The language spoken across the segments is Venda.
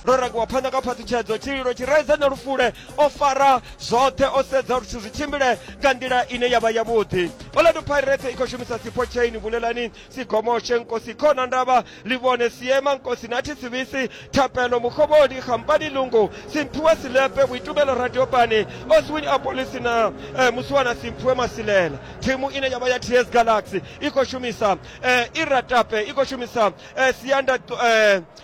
ro rakiwa phanḓa kha phaṱhutshedzo tshililo tshi raiza na lufule o fara zwoṱhe o sedza uri zwithu zwi tshimbile nga nḓila ine ya vha yavhuḓi orlando pirate i khou shumisa sipho chain vulelani sigomoshe nkosi khona ndavha livhone siema nkosi na thisivisi thapelo mukhovhoni khampani lungu simphiwa silepe vhuitumelo radiopani oswin apolisi na eh, musiwana simphiwe masilela thimu ine ya vha ya ts galaxy i khou shumisa eh, iratape i khou shumisa eh, sianda eh,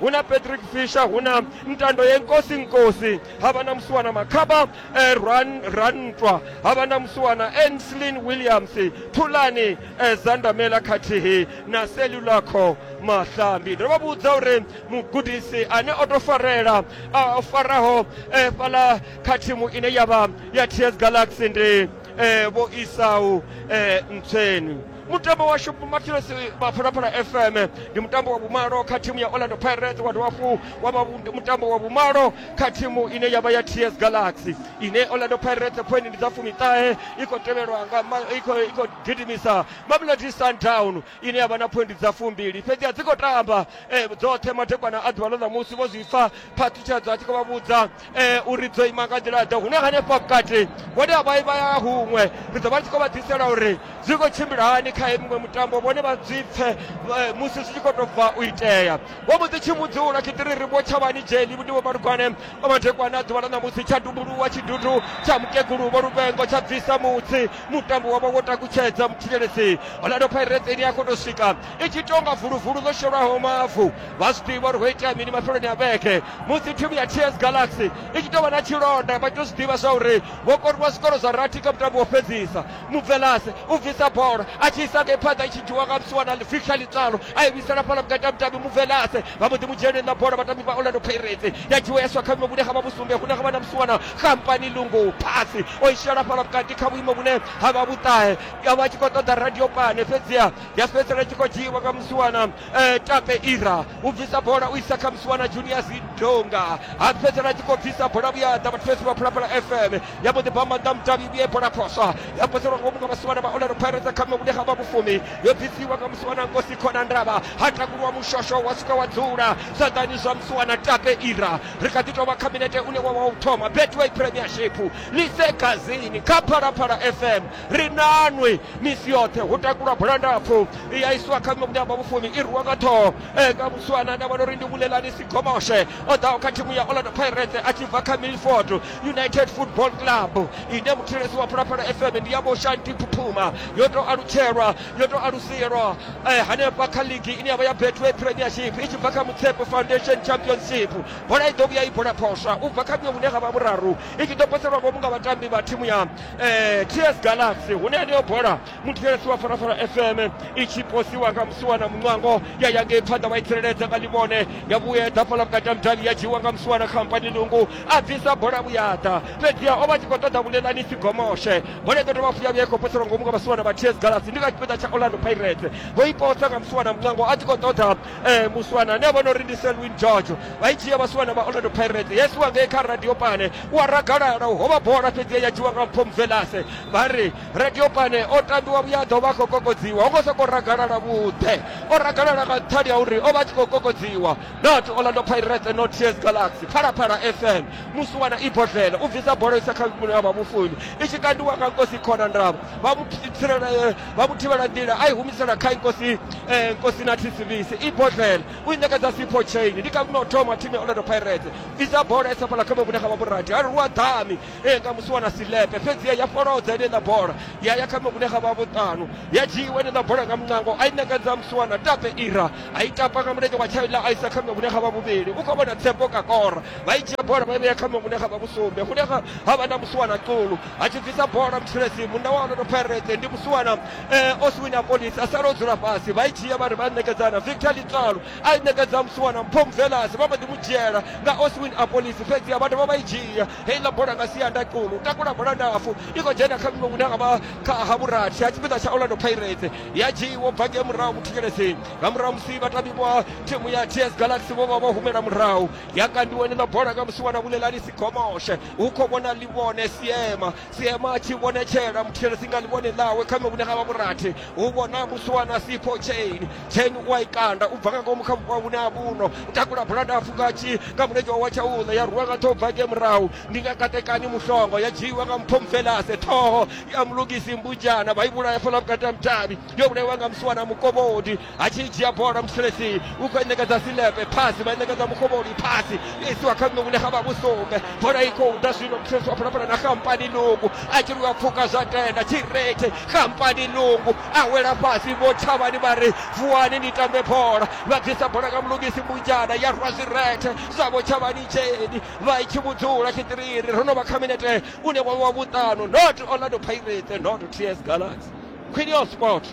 hu na patrick fisher hu na ntando yenkosi nkosi ha vha na musiwana makhaba eh, Ran, rantwa ha vha na musiwana enslin williams thulani eh, zandamela khathihi na selulaco mahlambi ndo vha vhudza uri mugudisi ane o to farela a o faraho eh, fhala kha thimu ine ya vha ya ts galaxy ndi eh, vho isau eh, ntsweni mutambo washu mathelos maphalaphala fm ndi mutambo wa vhumalo kha thimu ya orlando pirates wa dovha fu wa vha vhu- mutambo wa vhumalo kha thimu ine ya vha ya ts galaxy ine orlando pirates point ndi dza fumiṱahe i khou tevhelwa nga ma- i khou- i khou gidimisa mamelodi sundown ine ya vha na phoindi dza fumbili fhedzi a dzi khou tamba eh, dzoṱhe madekwana a ḓuvha ḽo ṋamusi vho zwi pfa phaṱhutshedzo a tshi khou vha vhudza eh, uri dzo ima nga nḓila ḓe hune hanefha vhukati vhone a vha i vha ya huṅwe ri ḓo vha ri tshi khou vha ḓisela uri zwi khou tshimbila hani kha miṅwe mutambo vhone vha zwi pfe eh, musi zwi tshi khou tou bva u itea vho mbo ḓi tshi mudzula tshiṱiri ri vho tshavhani dzheni ndi vho malugwane vha madekwana a ḓuvha ḽa ṋamusi tsha dumbuluwa tshidudu tsha mukegulu vho luvengo tsha bvisa mutsi mutambo wa vha wo takutshedza mutshilelesi orlando pirates ine ya khou tou swika i tshi tonga vuluvulu ḽo shelwaho mavu vha zwi ḓivha uri ho itea mini mafheloni a vhege musi thimu ya ts galaxy i tshi tou vha na tshilonda vha tou zwi ḓivha zwa uri vho koriwa zwikoro zwa rathi kha mutambo wo fhedzisa mubvelase u bvisa bola a tshi isa ngei phanḓa i tshi dzhiwa nga musiwa na victor litsalo a i vhuisela fhala vhukati ha mutambi mubvelase vha mbo ḓi mu dzheneni na bola vhatambi vha orlando pirates ya dzhiwa ya swa kha vhuimo vhune ha vha vhusumbe hune ha vha na musiwana kampani lungu phasi o i shela fhala vhukati kha vhuimo vhune ha vha vhuṱahe a vha tshi khou ṱoḓa radio pane fhedziha ya fhedzisela tshi khou dzhiiwa nga musiwana eh, tape ira u bvisa bola u isa kha musiwana junior zidonga a fhedzisela tshi khou bvisa bola vhuya ḓa vhathesi vha phalaphala fm ya mbo ḓi bva maḓa mudavhi vhuye bola phoswa ya poselwa ngomu nga musiwana vha olero pirates kha mevhune ha vha vhufumi yo bvisiwa nga musiwana nkosi khona ndavha ha takuliwa mushosho wa swika wa dzula zwaḓani zwa musiwana tape ira ri kha ḓi tovha kha minete une wa wa u thoma betway premiership lise gazini kha phalaphala fm ri nanwi misi yoṱhe hu takulwa bola ndapfu ya isiwa kha muṋe wa vhufumi i rwiwa nga ṱhoho e, nga muswana nda vhona uri ndi vulelani sigomoshe o ḓaho kha thimu ya orlando pirates a tshi bva kha milford united football club ine muthilesi wa phalaphala fm ndi ya vhoshanti phuphuma yo tou alutshelwa yo tou alusielwa eh, hanefha kha ligi ine ya vha ya betway premiership i tshi bva kha mutshepo foundation championship bola i ḓo vhuya i bola phoswa u bva kha muṅwe vhune ha vha vhuraru i tshi ḓo poselwa ngomu nga vhatambi vha thimu ya eh, ts galaxy hune yeneyo bola muthetshelesi wa farafara fm i tshi posiwa nga musiwana muṋwango ya ya ngei phanḓa wa i tsireledza nga ḽivhone ya vhuyedza fhala vhukati ha mudavhi ya dzhiiwa nga musiwana khampani lungu a bvisa bola vhuyaḓa fhedziha o vha tshi khou ṱoḓa vhuleḽani si gomoshe bola i ḓo dovha futhi ya vhuya i khou poselwa ngomu nga vhasiwana vha ts galaxy ndi nga tshipiḓa tsha orlando pirates vho i posa nga musiwana muṋwango a tshi khou ṱoḓa eh muswana ni a vhona uri ndi selwin george vha i dzhia vhaswana vha orlando pirates yes wa ngei kha radio pane u a ragalala ho vha bola fhedzi ya dzhiwa nga mpho mvelase vha ri radio pane o tambiwa vhuya ḓo vha khou kokodziwa ho ngo sokou ragalala vhuḓe o ragalala nga nṱhani ha uri o vha a tshi khou kokodziwa not orlando pirates not ts galaxy phalaphala fm muswana i bodlela u bvisa bola isa kha vhune ha vha mufuni i tshi kandiwa nga nkosi khona ndavha vha mu tsirele vha mu thivhela nḓila a i humisela kha nkosi eh, nkosi na thisivisi i botlele u i ṋekedza sipho chain ndi ka vhuno thoma thimu ya orlando pirates isa bola isa fhala kha mavhune kha vhaburati a ri lu a ḓami eh, nga musi wana silepe fhedzi ya folodza ine ṋa bola ya ya kha mavhune kha vhavuṱanu ya dzhiiwa ine ṋa bola nga muṋango a i ṋekedza musi wana tape ira a i tapa nga mulenzhe wa tshaila a isa kha mavhune kha vhavhuvhili u khou vhona tsepo kakora vha i dzhia bola vha i vhea kha mavhune kha vhavhusumbe hune ha vha na musi wana qulu a tshi bvisa bola mthulesi munna wa onoto pirates ndi musiwana eh, oswina polis asala o dzula fhasi vha i dzhia vha ri vha ṋekedzana victor litsalu a i ṋekedza musiwana mpom velas vha mba ḓi mu dzhiela nga oswin apolis fhedzi a vha dovha vha i dzhia heiḽa bola nga sianda kulu takula bola ndapfu i khou dzhena kha miṅwe hune ha vha kha ha vhurathi ha tshipiḓa tsha orlando pirates ya dzhiiwo bva ngei murahu muthikelesini nga murahu musi vhatambi vha thimu ya ts galaxy vho vha vho humela murahu ya kandiwa heneiḽa bola nga musiwana vulelani sigomoshe hu khou vhona ḽivhone siema siema a tshi vhonetshela muthetshelesi nga ḽivhone ḽawe kha mevhune ha vha vhurathi hu vhona muswana sipho chain chain u a i kanda u bva nga ngomu kha vhuvha vhune ha vhuno u takula bulanda a fuka tshi nga mulenzhe wawe tsha uḽa ya rwiwa nga ṱhoho bva nge murahu ndi nga katekani muhlongo ya dzhiiwa nga mpho mvelase ṱhoho ya mulugisi mbujana vha i vhulaya fhaḽa vhukati ha mudavhi yo vhulaiwa nga musiwana mukovhodi a tshi dzhia bola muselesi u khou i ṋekedza silepe phasi vha i ṋekedza mukovholi phasi yo isiwa kha ṋunguni ha vha vhusumbe bola i khou ḓa zwino muselesi wa phalaphala na kampani nungu a tshi lwa pfuka zwa tenda tshirethe kampani nungu a wela fhasi vho thavhani vha ri vuwani ni tambe bola vha bvisa bola nga mulugisi munjana ya rwa zwirethe zwavho tshavhani dzheni vha i tshi vhudzula tshitiriri ro no vha kha minete une wa vha wa vhuṱanu not orlando pirates not ts galaxy queen of sport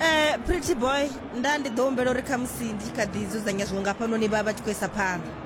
Eh, pretty boy nda ndi ḓo humbela uri khamusi ndi tshi kha ḓi dzudzanya zwiṅwe nga fhanoni vha vha tshi khou isa phanḓa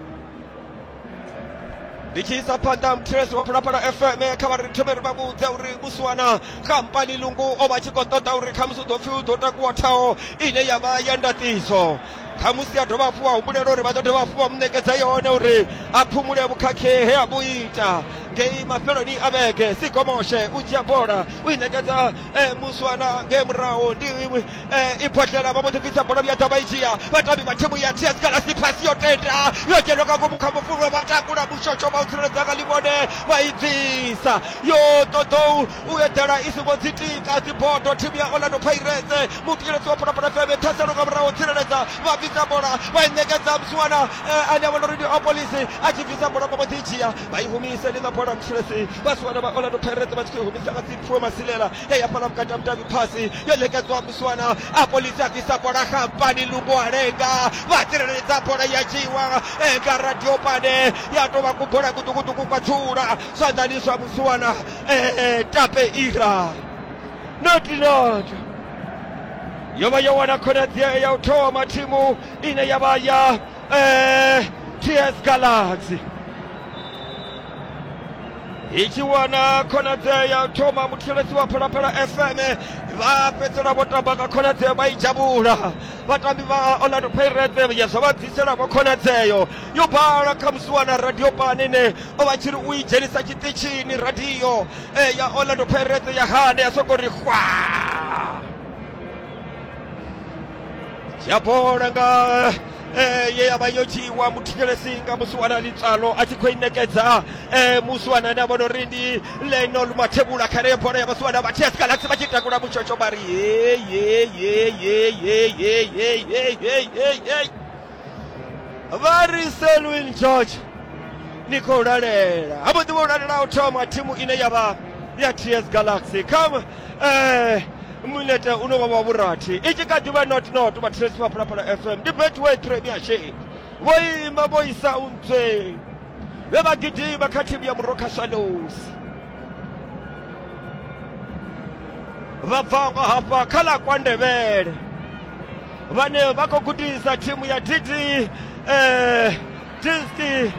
ndi tshi isa phanḓa muthetshelesi wa phalaphala fm kha vha ri thome ri vha vhudze uri musiwana kampani lungu o vha tshi khou ṱoḓa uri khamusi u ḓo pfhi u ḓo takuwa thaho ine ya vha ya ndaṱiso khamusi a dovha hafhu wa humbulela uri vha ḓo dovha hafhu vha mu ṋekedza yone uri a phumule vhukhakhe he a vhu ita ngei mafheloni a vhege sigomoshe u dzhia bola u i ṋekedza Eh, muswana ngei murahu ndi eh, ibhodlela vha mbo ḓi bvisa bola vhuya ḓa vha i dzhia vhatambi vha thimu ya ts galasi phasi yo tenda yo dzhenwa nga ngomu kha mufulwa vha takula mushosho vha u tsireledza nga ḽivhone vha i bvisa yo ṱoḓou u eḓela i songo dzi tika dzibodo thimu ya orlando pirates mutielesi wa phalaphala feme thaselo nga murahu tsireledza vha bvisa bola vha i ṋekedza muswana eh, ane a vhona uri ndi opolisi a tshi bvisa bola vha mbo ḓi i dzhia vha i humisa ndi ḽa bola mutshilesi vha siwana vha orlando pirates vha tshi khou i humisa nga dzipfuwo masilela ya ya fhala vhukati ha mudavhi phasi yo ṋekedzwa musiwana a polisi a bvisa bola xampani lungu a lenga vha tsireledza bola ya dzhiiwa e, nga radio pane ya tou vha kubola kuṱukuṱuku kwa dzula zwanḓani zwa musiwana e, tape ira notinot yo vha yo wana khonadzeo ya u thoma thimu ine ya vha ya eh, TS Galaxy ikiwa na khonadzeo ya thoma muthilesi wa phalaphala fm vha fhedzisela vho tamba nga khonadzeo vha i dzhavula vhatambi vha orlando pirates ya zwa vha bvisela vho khonadzeo yo bala kha musi wana radio pani ine o vha tshi ri u i dzhenisa tshiṱitshini radio eh, ya orlando pirates ya hane ya sokou ri hwaa dzhia bola nga eh, ye ya vha yo dzhiiwa muthetshelesi nga muswanani tsalo a tshi khou i nekedza eh, muswanani a vhona uri ndi lenol mathebula kha reyo bola ya vhaswana vha ts galaxy vha tshi takula mutshotsho vha ri heyeyeyeyeyeyeyeyeyeyeyeyey vha ri selwin george ni khou lalela ha vhuḓi vha u lalela u thoma thimu ine ya vha ya ts galaxy kha um mulete une wa vha vhurathi i tshi kha ḓi vha not not vhathetshelesi vha phalaphala fm ndi betway premiership vho ima vho isa untswe vhe vha gidima kha thimu ya murokha swallows vha bva hafha kha ḽa kwa ndevhele vhane vha khou gudisa thimu ya dd eh, disti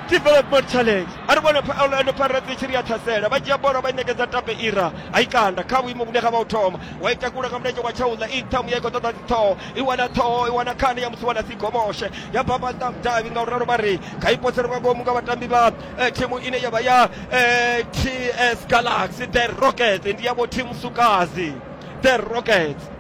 development challenge a ri vhone pha- orlando pirates i tshi ri ya ṱhasela vha dzhia bola vha i ṋekedza tape ira a i kanda kha vhuimo vhune ha vha u thoma wa i takula nga mulenzhe wa tshauḽa i ṱhamu ya i khou ṱoḓa dziṱhoho i wana ṱhoho i wana khani ya musi wana si gomoshe ya bamba nnḓa mudavhi nga u ralo vha ri kha i posele nga ngomu nga vhatambi vha thimu ine ya vha ya eh, ts galaxy the rockets ndi yavho thimu sukazi the rockets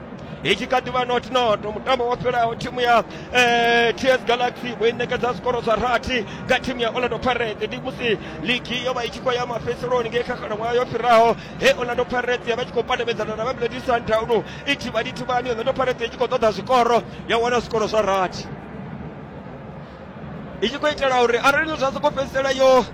i tshi kha ḓivha not not mutambo wo fhelaho thimu ya eh, ts galaxy vho i ṋekedza zwikoro zwa rathi kha thimu ya orlando pirates ndi musi ligi yo vha i tshi khou ya mafhedziseloni ngei kha khalaṅwaha yo fhiraho he orlando pirates ya vha i tshi khou pandamedzana na mamelodi sundowns i thivhani thivhani orlando pirates i tshi khou ṱoḓa zwikoro ya wana zwikoro zwa rathi i tshi khou itela uri arali zwa sokou fhedzisela yo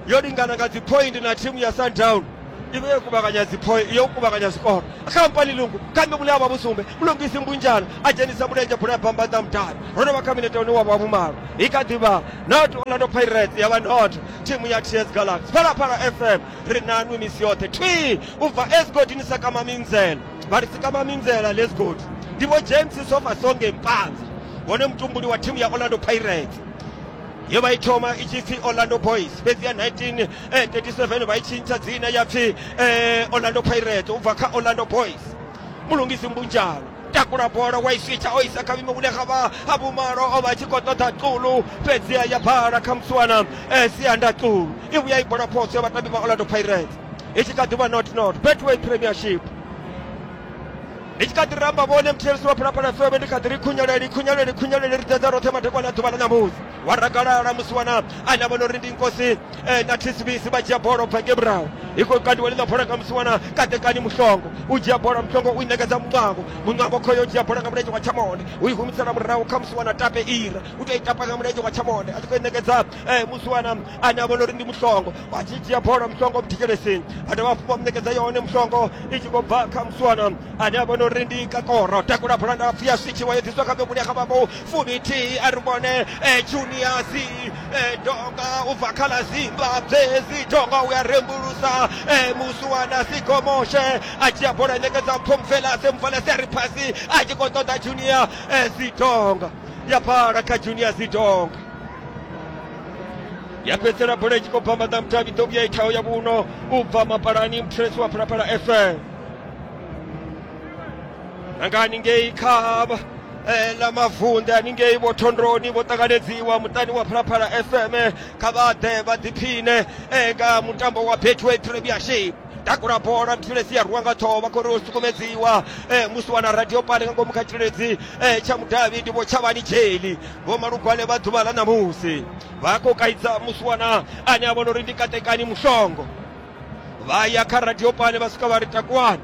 yo lingana nga dzi point na thimu ya sundown i vhe yo kuvhanganya dzi point yo kuvhanganya zwikoro khampani lungu kambe mune avha vhusumbe mulungisi mbunjana a dzhenisa mulenzhe bola ya bambanda mutali ro no vha kha minete une wa vha vhumalo i kha ḓivha not orlando pirates ya vha not thimu ya ts galaxy phalaphala fm ri nanwi misi yoṱhe thwi u bva esgodini sakama minzela tshibali sikama minzela lesgod ndi vho james sofa songe mpanza vhone mutumbuli wa thimu ya orlando pirates ye vha i thoma i tshi pfi orlando boys fhedzi ya 1937 vha i tshintsha dzina ya pfi eh, orlando pirates u bva kha orlando boys mulungisi mbunjalo takula bola wa i switsha o isa kha vhime hune ga vha ha vhumalo o vha a tshi khou ṱoḓa tulu fhedziha ya bala kha muswana eh, sianda tulu i vhuya i bola phoso ya vhatambi vha orlando pirates i tshi kha ḓi vha not not betway premiership i tshi kha ḓi ramba vhone muthelisi wa phalaphala fm ndi kha ḓi ri khunyeleli khunyeleli khunyeleli ri ḓedza roṱhe madekwana a ḓuvha ḽa ṋamusi wa rakalala musi wana ane a vhona uri ndi nkosi eh, na tshisibisi vha dzhia bola ubva nge murahu i khou kandiwa ḽiḽa bola nga musi wana katekani muhlongo u dzhia bola muhlongo u i ṋekedza muṋwango muṋwango khoyo u dzhia bola nga mulenzhe wa tshamonde u i humisela murahu kha musi wana tape ira u tou i tapa nga mulenzhe wa tshamonde a tshi khou i ṋekedza eh, musi wana ane a vhona uri ndi mushongo vha tshi dzhia bola mushongo vhuthikelesini a dovha hafhu vha muṋekedza yone mushongo i tshi khou bva kha musi wana ane a vhona uri ndi kakoro takula bola ndapfu ya switshiwa yo ḓiswa kha vhevhuli ya kha vhako fuminthihi a ri vhone eh, juniasi eh, donga u bva kha ḽa zimbabwe zidonga u ya rembulusa eh, musi wana sigomoshe a dzhia bola a ṋekedza phomfelase mfelase a ri phasi a tshi khou ṱoḓa junior eh, zidonga ya fhala kha junior zidong ya fhedzisela bola i tshi khou bva maḓamutavhi ḓo vhuya i thaho ya vhuno u bva mapalani muthulesi wa phalaphala fm nanga haningei kha eh, ḽa mavunḓe haningei vho thondoni vho ṱanganedziwa muṱani wa phalaphala fm kha vha ḓe vha ḓiphine eh, nga mutambo wa betway premiership takula bola mthulezi ya rwiwa nga ṱhoho vha khori o sukumedziwa eh, musi wana radio pale nga ngomu kha tshiledzi eh, tsha mudavhi ndi vhotshavhani dzheli vho malugwane vha ḓuvha ḽa ṋamusi vha khou kaidza musi wana ane a vhona uri ndi katekani mushongo vha ya kha radio pale vha swika vha ri takuwani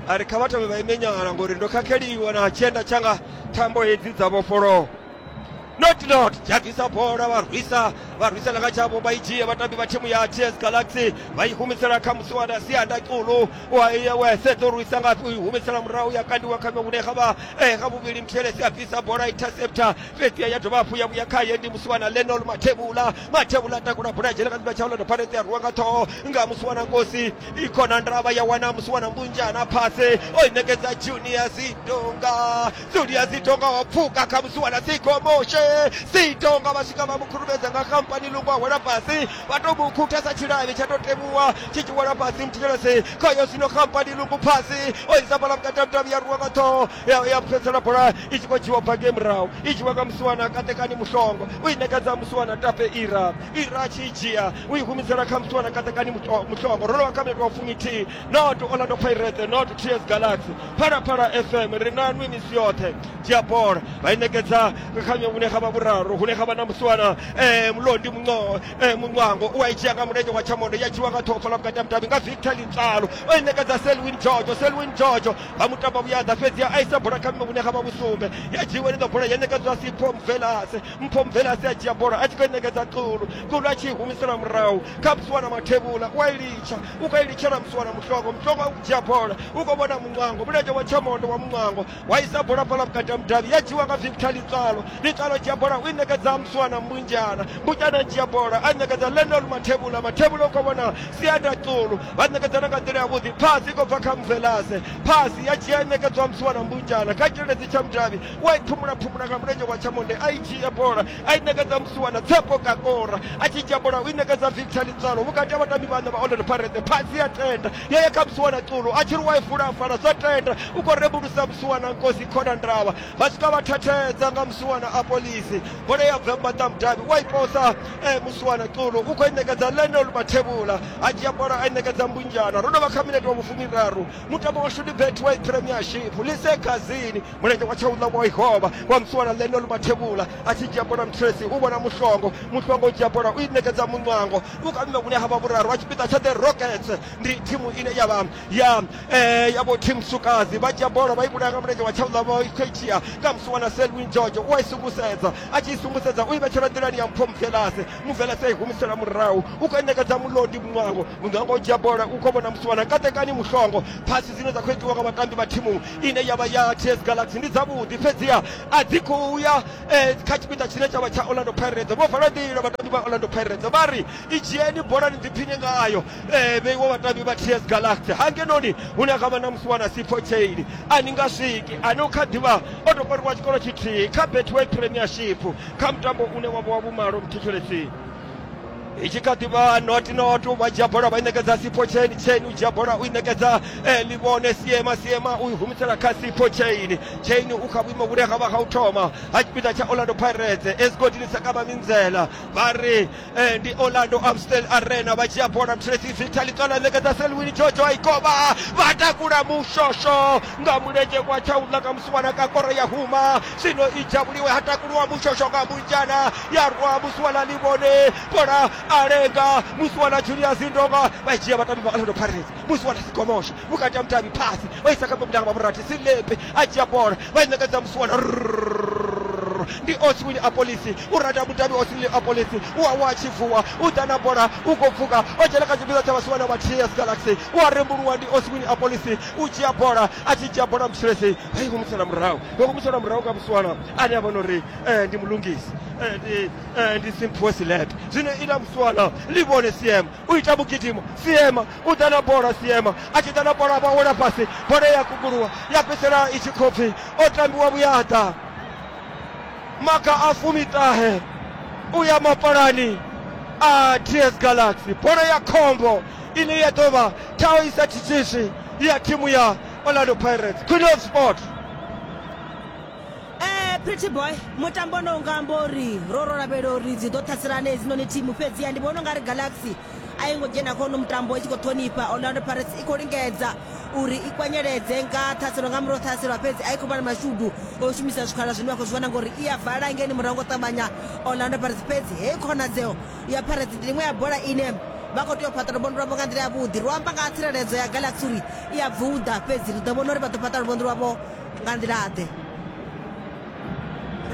a ri kha vha thome vha ime nyala ngori ndo khakheliwa na tshienda tshanga thambo hedzi dza vhofholowa not not dzhagisa bola vha rwisa vha rwisela kha tshavho vha i dzhie vhatambi vha thimu ya ts galaxy vha i humisela kha musiwana sianda culu wese ḓo rwisa nga i humisela murahu ya kandiwa kha hune kha vha eh, kha vhuvhili muthelesi a bvisa bola interceptor fhedzi ya dovha hafhu ya vhuya khaye ndi musiwana lenol mathevhula mathevhula a takula bola dzhena kha ḓivha tshaula doparete ya rwiwa nga ṱhoho nga musiwana nkosi i khona ndravha ya wana musiwana mbunjana phase o i ṋekedza junior zidonga Julius Sitonga wapfuka khamusiwa na Siko Moshe Sitonga vha swika vha mu khurumedza nga khampani lungo a wela fhasi vha tou mu khuthesa tshilavhi tsha tou temuwa tshi tshi wela fhasi muthelesi khayo zwino khampani lungo phasi o isa bola vhukati ha mutavhi ya ruwa nga ṱhoho ya- ya fhedzisela bola i tshi khou dzhiwa bva ngei murahu i dzhiwa nga musiwana katekani muhlongo u i ṋekedza musiwana tape ira ira a tshi i dzhia u i humisela kha musiwana katekani Muto- muhlongo ro lovha kha minete wa fuminthihi Not Orlando Pirates, not TS Galaxy. Phalaphala FM ri na nwi misi yoṱhe dzhia bola vha i ṋekedza khanyo vhune ha vha vhuraru hune ha vha na musiwana eh, Mlondi Munco, eh, Muncwango u a i dzhia nga mulenzhe wa Tshamondo ya dzhiwa nga ṱhofa ḽa vhukati ha mudavhi nga Victor Litsalo o i ṋekedza Selwyn Jojo Selwyn Jojo vha mu tamba vhuyaḓa fhedzi a isa bola kha mme vhune ha vha vhusumbe ya dzhiwa iḽo bola ya ṋekedzwa Sipho Mvelase Mpho Mvelase a dzhia bola a tshi khou i ṋekedza Xulu Xulu a tshi i humisela murahu kha musiwana Mathevhula u a i litsha ukailitshela msuwana muhloko muhloko akudzhia bola u khou vhona muncwango mulenzhe wa tshamondo wa muncwango wa isa bola bola vhukati ha mudavhi ya dzhiwa nga victor litswalo litswalo dzhia bola u i ṋekedza musuwana mbunjana mbunjana dzhia bola a ṋekedza lenol mathevhula mathevhula u khou vhona sianda tsulu vha ṋekedzana nga nḓila yavhuḓi phasi i khou bva kha mvelase phasi ya dzhia i ṋekedzwa musuwana mbunjana kha tshireledzi tsha mudavhi u a i phumula phumula nga mulenzhe wa tshamonde a i dzhia bola a i ṋekedza musiwana Tshepo Kakora a tshi dzhia bola u i ṋekedza Victor Litswalo vhukati ha vhatambi vhaṋa vha Orlando Pirates phasi ya tenda ya ya kha musiwana Xulu a tshi ri wa i fula afhala zwa tenda u khou rembulusa musiwana Nkosi Khona Ndavha vha swika vha thathedza nga musiwana a Polisi bola ya bva maṱa mudavhi wa i posa eh, musiwana Xulu u khou i ṋekedza Lionel Mathevhula a dzhia bola a i ṋekedza Mbunjana ro no vha kha minete wa vhufumiraru mutambo wa Shudi Betway Premiership Lise Gazini mulenzhe wa tshauḽa wa ihovha wa msuwana ḽene lu mathevhula a tshi dzhia bola mtresi u vhona muhlongo muhlongo u dzhia bola u i ṋekedza muṋwango u kha mme vhune ha vha vhuraru wa tshipiḓa tsha the rockets ndi thimu ine ya vha ya eh, ya vho team sukazi vha dzhia bola vha i vhulaya nga mulenzhe wa tshauḽa vha khou i dzhia kha msuwana selwin george u a i sungusedza a tshi i sungusedza u i vhetshela nḓilani ya mpho mvelase mvelase a i humisela murahu u khou i ṋekedza mulondi muṋwango muṅwe a ngo dzhia bola u khou vhona musiwana katekani muhlongo phasi dzine dza khou itiwa nga vhatambi vha thimu ine ya vha ya ts galaxy ndi dzavhuḓi fhedziha a dzi khou ya eh, kha tshipiḓa tshine tsha vha tsha orlando pirates vho vala nḓila vhatambi vha orlando pirates vha ri i dzhieni bolani ḓiphiṋe ngayo eh, vheiwo vhatambi vha ts galaxy hangenoni hune ha vha na musiwana sipho chaini a ni nga swiki ane u kha ḓivha o tou koriwa tshikolo tshithihi kha betway premiership kha mutambo une wa vha wa vhumalo muthetshelethi i tshi kha ḓi vha not not vha dzhia bola vha i ṋekedza sipo chain chain u dzhia bola u i ṋekedza eh, livhone siema siema u i humisela kha sipo chain chain u kha vhuimo vhune ha vha ha u thoma ha tshipiḓa tsha orlando pirates esigodini sa kama minzela vha ri eh, ndi orlando amstel arena vha dzhia bola mthilesi victor likala a ṋekedza selwini jojo a i koba vha takula mushosho nga mulenzhe kwa tsha u ḽa nga wana ka koro ya huma zwino i dzhavhuliwe ha takuluwa mushosho nga munzhana ya rwa musiwana livhone bola a lenga musiwana julius ndonga vha dzhia vhatambi vha orlando pirates musiwana sigomosha vhukati ha mudavhi phasi vha isa kha mabulanga vhavhurathi silepe a dzhia bola vha i ṋekedza musiwana ndi oswini a polisi u rada mudavhi oswini a polisi u awa a tshi vuwa u ḓa na bola u khou pfuka o dzhena kha tshipiḓa tsha vhasiwana vha ts galaxy u a rembuluwa ndi oswini a polisi u dzhia bola a tshi dzhia bola mushulesi vha i humisela murahu vha humisela murahu nga muswana ane a vhona uri eh, ndi mulungisi eh, ndi eh, ndi simphiwe silete zwino ila muswana ḽi vhone siema u ita vhugidimo siema u ḓa na bola siema a tshi ḓa na bola vha wela fhasi bola ya kukuluwa ya fhedzisela i tshi khou pfi o tambiwa vhuyaḓa maga a fumiṱahe u ya mapalani a ts galaxy bola ya khombo ine ya ḓo vha Tau isa chichishi ya timu ya Orlando Pirates. Queen of Sport. Eh, pretty boy mutambo ono unga amba uri ro ro lavhelela uri dzi ḓo ṱhaselana hedzinoni thimu fhedziha ndi vhona u nga ri galaxy a yi ngo dzhena kha uno mutambo i tshi khou ṱhonifha orlando pirates i khou lingedza uri i kwanyeledze nga ṱhaselo nga murahu ṱhaselwa fhedzi a i khou vha na mashudu o shumisa zwikhala zwine vha khou zwi vhona ngori i a vala ngeni murahu ngo ṱavhanya orlando pirates fhedzi heyi khonadzeo ya Pirates ndi iṅwe ya bola ine vha khou tea u fhaṱa luvhonḓi lwavho nga nḓila yavhuḓi ro amba nga ha tsireledzo ya galaxy uri i a bvuḓa fhedzi ri ḓo vhona uri vha ḓo fhaṱa luvhonḓi lwavho nga nḓila ḓe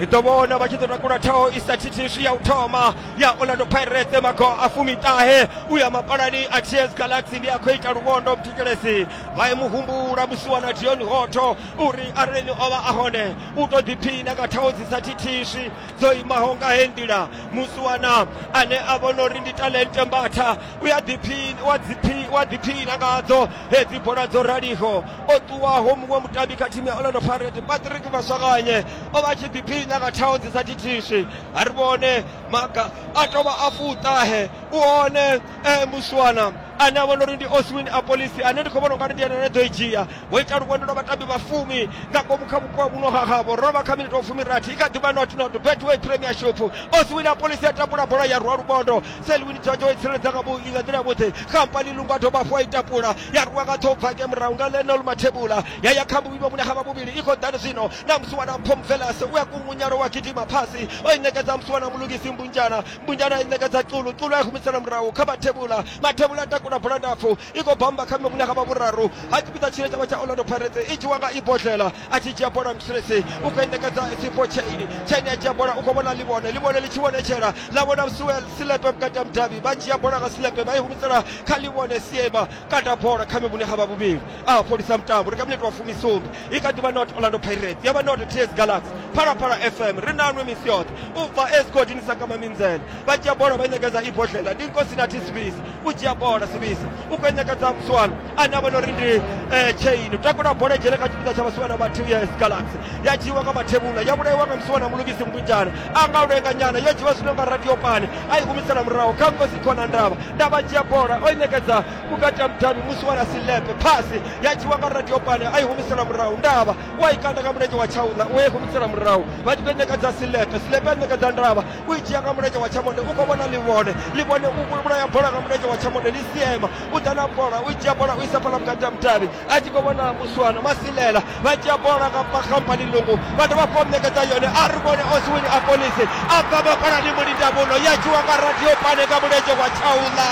ri ḓo vhona vha tshi ḓo takula thaho i sa thithiswi ya u thoma ya orlando pirates mago a fumiṱahe u ya mapalani a ts galaxy ndi a khou ita luvhondo mthetshelesi vha ye muhumbula musiwa na dion hoto uri arali ni o vha a hone u tou ḓiphina nga thaho dzi sa thithiswi dzo imaho nga he nḓila musiwana ane a vhona uri ndi talente mbatha u a ḓiphina wa ḓiphi wa ḓiphina ngadzo hedzi bola dzo raliho o ṱuwaho muṅwe mutambi kha thimu ya orlando pirate patrick maswakanye o vha tshi ḓiphina nga thaho dzi sa thithiswi a ri vhone maga a tovha a fuṱahe u hone eh, muswana ane a vhona uri ndi oswin apolisi ane ndi khou vhona ungari ndi ene ane ḓo i dzhia wo ita luvhondo lwa vhatambi vha fumi nga ngomu kha vhupo vhuno ha havho ro vha kha minete wa fumirathi i kha ḓivha not not betway premiership oswin apolisi a tambula bola ya rwa luvhondo selwini dzonjo i tsireledza nga vhu- nga nḓila yavhuḓi khampani lungu a dovha hafhu a i tapula ya rwa nga ṱhoho bvake murahu nga lenol mathebula ya ya kha muvhili wa vhune ha vha vhuvhili i khou ḓani zwino na musiwana mpho mvelase u a kungunyalo wa gidima phasi o i ṋekedza musiwana mulungisi mbunjana bunjana ineka dza culu culu ya humisela murahu kha mathevhula mathevhula a takula bola ndapfu i khou bamba kha mivhuna kha vha vhuraru ha tshipiḓa tshine tshavha tsha orlando pirates i dzhiwa nga ibodlela a tshi dzhia bola msresi u khou endekadza sipo chaini chaini a dzhia bola u khou vhona ḽivhone ḽivhone ḽi tshi vhonetshela ḽa vhona suel silepe vhukati ha mudavhi vha dzhia bola nga silepe vha i humisela kha ḽivhone siema kata bola kha mivhune ha vha vhuvhili a fholisa mutambo ri kha minete wa fumisumbe i kha ḓivha not orlando pirates ya vha not ts galaxy phalaphala fm ri nanwe misi yoṱhe u bva esgodini sa kama minzele vha dzhia bola vha ṋekedza ibodlela ndi nkosi na tisibisi u dzhia bola sibisi u khou ṋekedza muswana ane a vha no ri ndi eh, chain u takula bola dzhele kha tshipiḓa tsha vhaswana vha ts galaxy ya dzhiiwa nga mathevhula ya vhulaiwa nga muswana mulugisi mkunjana a nga u lenga nyana yo dzhiwa zwino nga radio pani a i humisela murahu kha nkosi khona ndavha ndavha dzhia bola o i ṋekedza vhukati ha mudavhi musi wa lasilepe phasi ya dzhiwa nga radio pane a i humisela murahu ndavha u a i kanda nga mulenzhe wa tshaula u a i humisela murahu vha tshi ḓo ṋekedza silepe silepe a ṋekedza ndavha u i dzhia nga mulenzhe wa tshamonde u khou vhona ḽivhone ḽivhone u vhulaya bola nga mulenzhe wa tshamonde ḽi siema u ḓa na bola u i dzhia bola u isa fhala vhukati ha mudavhi a tshi khou vhona muswana masilela vha dzhia bola nga khamphani lungu vha dovha fho ṋekedza yone a ri vhone oswini a polisi a bva mafhalani mulindamuno ya tshiwa nga radio pane nga mulenzhe wa tshaula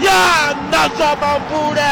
ya ṋatswa mambule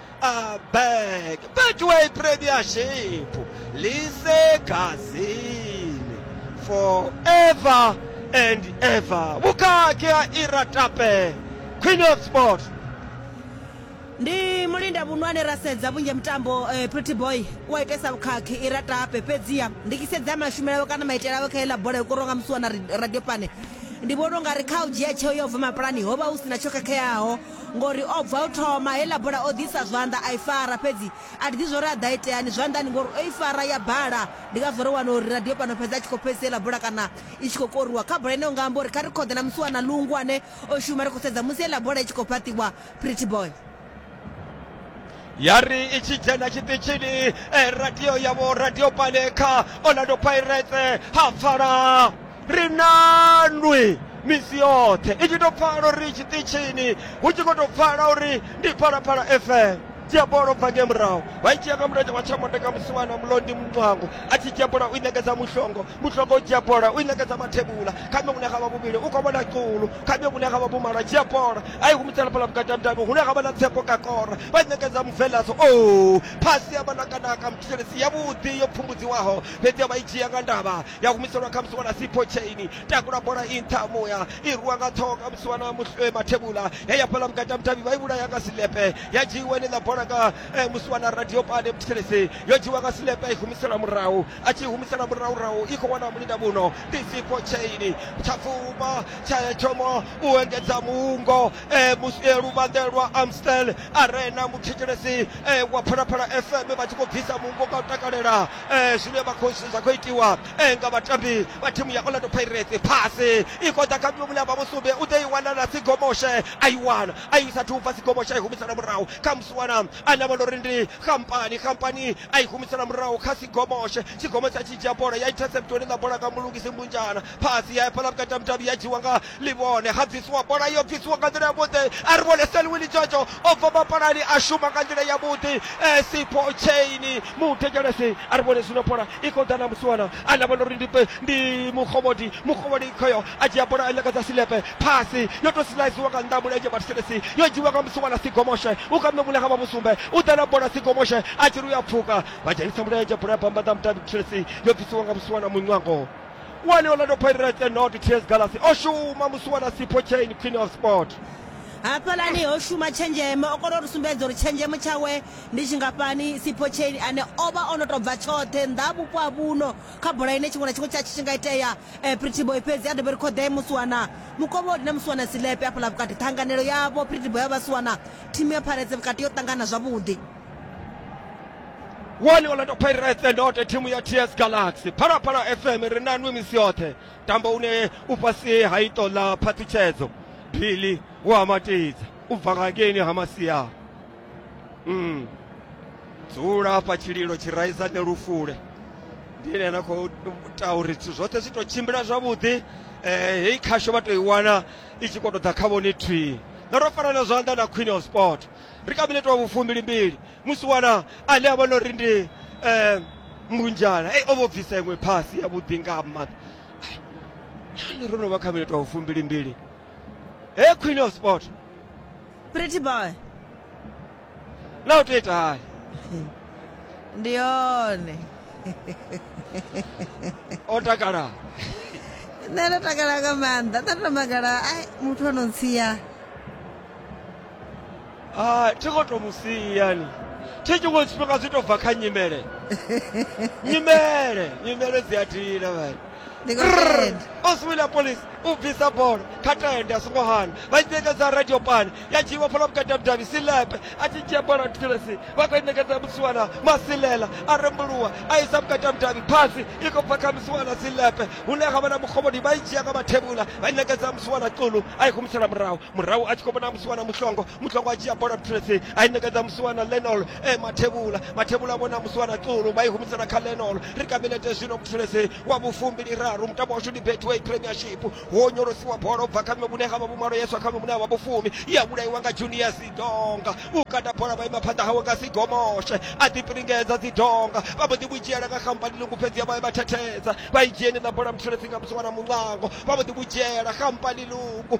a bag betway premiership lisegazini forever and ever vhukati ha iratape queen of sport ndi mulinda vhunwane ra sedza vhunzhi mutambo eh, pretty boy u a itesa vhukhakhi i ra tape fhedziha ndi tshi sedza mashumele awe kana maitele awe kha iḽa bola yo korowa nga musi wana radio pane ndi vhona u nga ri kha u dzhia tsheo yo bva mapulani ho vha hu si na tsho khakheaho Ngori o bva u thoma, heiḽa bola o ḓisa zwanḓa a i fara, fhedzi a thi ḓivhi zwori a ḓa iteani zwanḓani ngori o i fara ya bala. Ndi ngazwo ro wana uri radio fhano fhedza a tshi khou pfesesa heiḽa bola kana i tshi khou koriwa. Kha bola ine unga amba uri kha ri khoḓe na musi wana Lungu ane o shuma ri khou sedza musi heiḽa bola i tshi khou fhaṱiwa, Pretty Boy. ya ri i tshi dzhena tshiṱitshini eh, radio yavho radio pale kha orlando pirates ha pfala ri nanwi misi yoṱhe i tshi tou pfala uri tshiṱitshini hu tshi khou tou pfala uri ndi phalaphala fm dzhia bola ubva nge murahu vha i dzhia nga mulenzhe wa tshamondeka musiwana mulondi muncwango a tshi dzhia bola u i ṋekedza mushongo mutlhoko dzhia bola u i ṋekedza mathebula kha mme vhune xavha vhuvhili u khou vhona culu kha mme vhune xavha vhumalo a dzhia bola a i humisela fhala vhukati ha mudavhi hune xavha na tsepo ka kora vha i ṋekedza muvelaso o oh, phasi ya vhanakanaka muthelesi yavhuḓi yo pfumbudziwaho fhedzi ya vha i dzhia nga ndavha ya humiselwa kha musi wana sipho chaini takula bola i nṱha muya i rwiwa nga ṱhoho kha musi wana eh, mathebula ya ya fhala vhukati ha mudavhi vha i vhulaya nga silepe ya dzhiiwa ine ḽa bola nga eh, musi wana radio pane muthelesi yo dzhiwa nga silepe i humiselwa murahu a tshi humisela muraurau i khou wana mulinga muno ndi siko chaini tsha pfuma tsha thoma u engedza muungo eh, mus- eh, luvhanḓe lwa amstel arena muthetshelesi eh, wa phalaphala fm vha tshi khou bvisa muungo nga u takalela eh, zwine vha khou- zwa khou itiwa eh, nga vhatambi vha thimu ya orlando pirates phasi i khou ḓa kha mlomula vha musumbe u ḓo i wana na sigomoshe a i wana a i sathu bva sigomoshe a i humisela murahu kha musiwana ane a vhona uri ndi khampani khampani a i humisela murahu kha sigomoshe sigomo tsha tshi dzhia bola ya intercept hone na bola nga mulungisi mbunjana phasi ya fhala vhukati ha mudavhi ya dzhiwa nga livhone ha bvisiwa bola yo bvisiwa nga nḓila ya vhuḓi a ri vhone selwini jojo o bva mapalani a shuma nga nḓila ya vhuḓi eh, sipo chaini muthetshelesi a ri vhone zwino bola i khou ḓa na musiwana ane a vhona uri ndi ndi mukhovhodi mukhovhodi khoyo a dzhia bola a nyakadza silepe Phasi yo tou silaiziwa nga nnḓa ha mulenzhe wa Thselesi, yo dzhiiwa nga musi wa ḽa Sigomoshe, u kha mme Vhulekha vha Vhusumbe, u ḓa na bola Sigomoshe a tshi ri u ya pfuka, vha dzhenisa mulenzhe, bola ya bva mbanḓa ha mudavhi Thselesi yo bvisiwa nga musi wa ḽa Muṋwango. One Orlando Pirates and Not Tears Galaxy o shuma musi wa ḽa Sipho Chain Queen of Sport. Hafhaḽani ho shuma tshenzhemo, o kona u ri sumbedza uri tshenzhemo tshawe ndi tshingafhani. Sipho Chain ane o vha o no tou bva tshoṱhe nnḓa ha vhupo ha vhuno kha bola ine tshiṅwe na tshiṅwe tsha tshi tshi nga itea, Eh, Pretty Boy fhedzi a dovhe ri khoḓee musiwana mukovholi na musiwana silepe afhaḽa vhukati ṱhanganelo yavho Pretty Boy ya vhasiwana thimu ya pharedze vhukati yo ṱangana zwavhuḓi one orlando pirates and ote thimu ya ts galaxy phalaphala fm ri na nwi misi yoṱhe tambo une u fhasi ha ito ḽa phaṱhutshedzo bili wa matidza u bva ngangeni ha masia Mm. dzula hafha tshililo tshi raisane lufule ndi ene ana khou ita uri zwithu zwoṱhe zwi tou tshimbila zwavhuḓi um heyi khasho vha tou i wana i tshi khou tou ḓa kha vhone thwii na ro farana zwanḓa na queen of sport ri kha minete wa vhufumbilimbili musi wana ane a vhona uri ndi um mbunjana ei o vho bvisa iṅwe phasi ya vhuḓi nga maanḓa nani ro no vha kha minete wa vhufumbilimbili he queen of sport Pretty boy. Leo teta haya. Ndione. Otakala. Nṋe ndo takala nga maanḓa. Nṋe ndo magala ai muthu ono ntsia. Ah, thi khou to musi yani. Thi tshiṅwe tshifhinga zwi to bva kha nyimele. nyimele, nyimele dzi a dina vhani. oswila police u bvisa bola kha tende a songo hana vha i ṋekedza radio pani ya dzhiiwa fhala vhukati ha vhudavhi silepe a tshi dzhia bola thilesi vha khou i ṋekedza musiwana masilela a rembuluwa a isa vhukati ha vhudavhi phasi i khou bva kha musiwana silepe hune ha vha na mukhomoni vha i dzhia nga mathevhula vha i ṋekedza musiwana xulu a i humisela murahu murahu a tshi khou vhona musiwana muhlongo muhlongo a dzhia bola tresi a i ṋekedza musiwana lenol e mathevhula mathevhula vhona musiwana tsulu vha i humisela kha lenol ri ka minete zwino mutresi wa vhufumbili raru mutambo washu ndi betway premiership ho onyolosiwa bola u bva kha mme vhune ha vha vhumalo yeswa kha mme vhune ha vha vhufumi ya vhulaiwa nga junior sidonga u kata bola vha ima phanḓa hawe nga sigomoshe a ḓipiringedza dzidonga vha mbo ḓi vhudzhiela nga khampani lungu fhedzi ya vha vha thethedza vha i dzheni na bola mutresi nga musiwana muṋango vha mbo ḓi vhudzhiela khampani lungu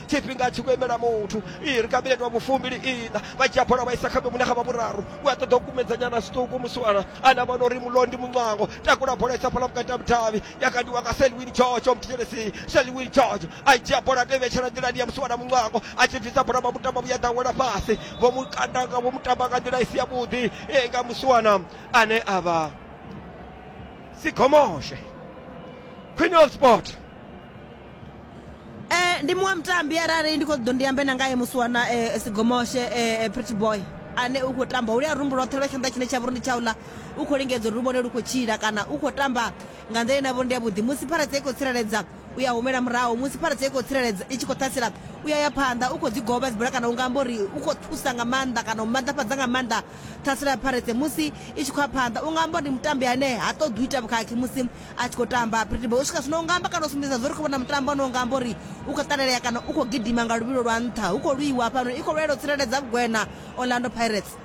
tshifhinga a tshi khou imela muthu iri kha minete wa vhufumbili ina vha dzhia bola vha isa kha vhemune kha vha vhuraru u a ṱoḓa u kumedzanyana zwiṱuku musiwana ana vhona uri mulondi muncwango takula bola isa fhala vhukati ha mudavhi ya kandiwa nga selwin george o muthelesi selwin george a dzhia bola to ivhetshela nḓilani ya musiwana muncwango a tshi bvisa bola vha mutamba vhuya ḓawela fhasi vho mukandanga vho mutamba nga nḓila i si yavhuḓi e nga musiwana ane a vha sigomoshe queen of sport Eh, ndi muṅwe mutambi arali ndi khou ḓo ndi ambe na ngae musi wana eh, sigomoshe eh, eh, pretty boy ane u khou tamba ulia rumbu lwoṱhe lwa tshanḓa tshine tsha vha uri ndi tshaula u khou lingedza uri lu vhone lu khou tshila kana u khou tamba nga nḓila ine ya vha uri ndi yavhuḓi musi pharadze i khou tsireledza u ya humela murahu musi pharadze i khou tsireledza i tshi khou ṱhasela u ya ya phanḓa u khou dzi goba dzibula kana u nga amba uri u khou thusa nga maanḓa kana u maanḓafhadza nga maanḓa ṱhasela ya pharadze musi i tshi khou ya phanḓa u nga amba uri ndi mutambi ane ha ṱoḓi u ita vhukhakhi musi a tshi khou tamba pretty boy u swika zwino u nga amba kana u sumbedza zwo ri khou vhona mutambo une u nga amba uri u khou ṱalelea kana u khou gidima nga luvhilo lwa nṱha hu khou lwiwa hafhanoni i khou lwela u tsireledza vhugwena orlando pirates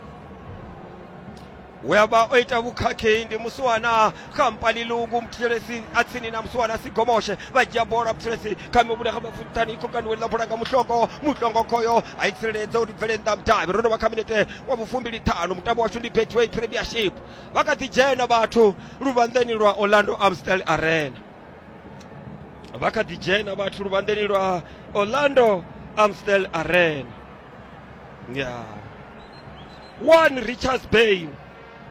we a vha o ita vhukhakhi ndi musiwana khampani lungu muthelesi a tsini na musiwana sigomoshe vha dzhia bola muthelesi kha mivhuda kha mafuthani i khokanuweni ḽa bola nga muhlongo muhlongo khoyo a i tsireledza uri bvele nnḓa mudavhi ro no vha kha minete wa vhufumbili ṱhanu mutambo washu ndi betway premiership vha kha ḓi dzhena vhathu luvhanḓeni lwa orlando amstel arena vha kha ḓi dzhena vhathu luvhanḓeni lwa orlando amstel arena ya one richards bay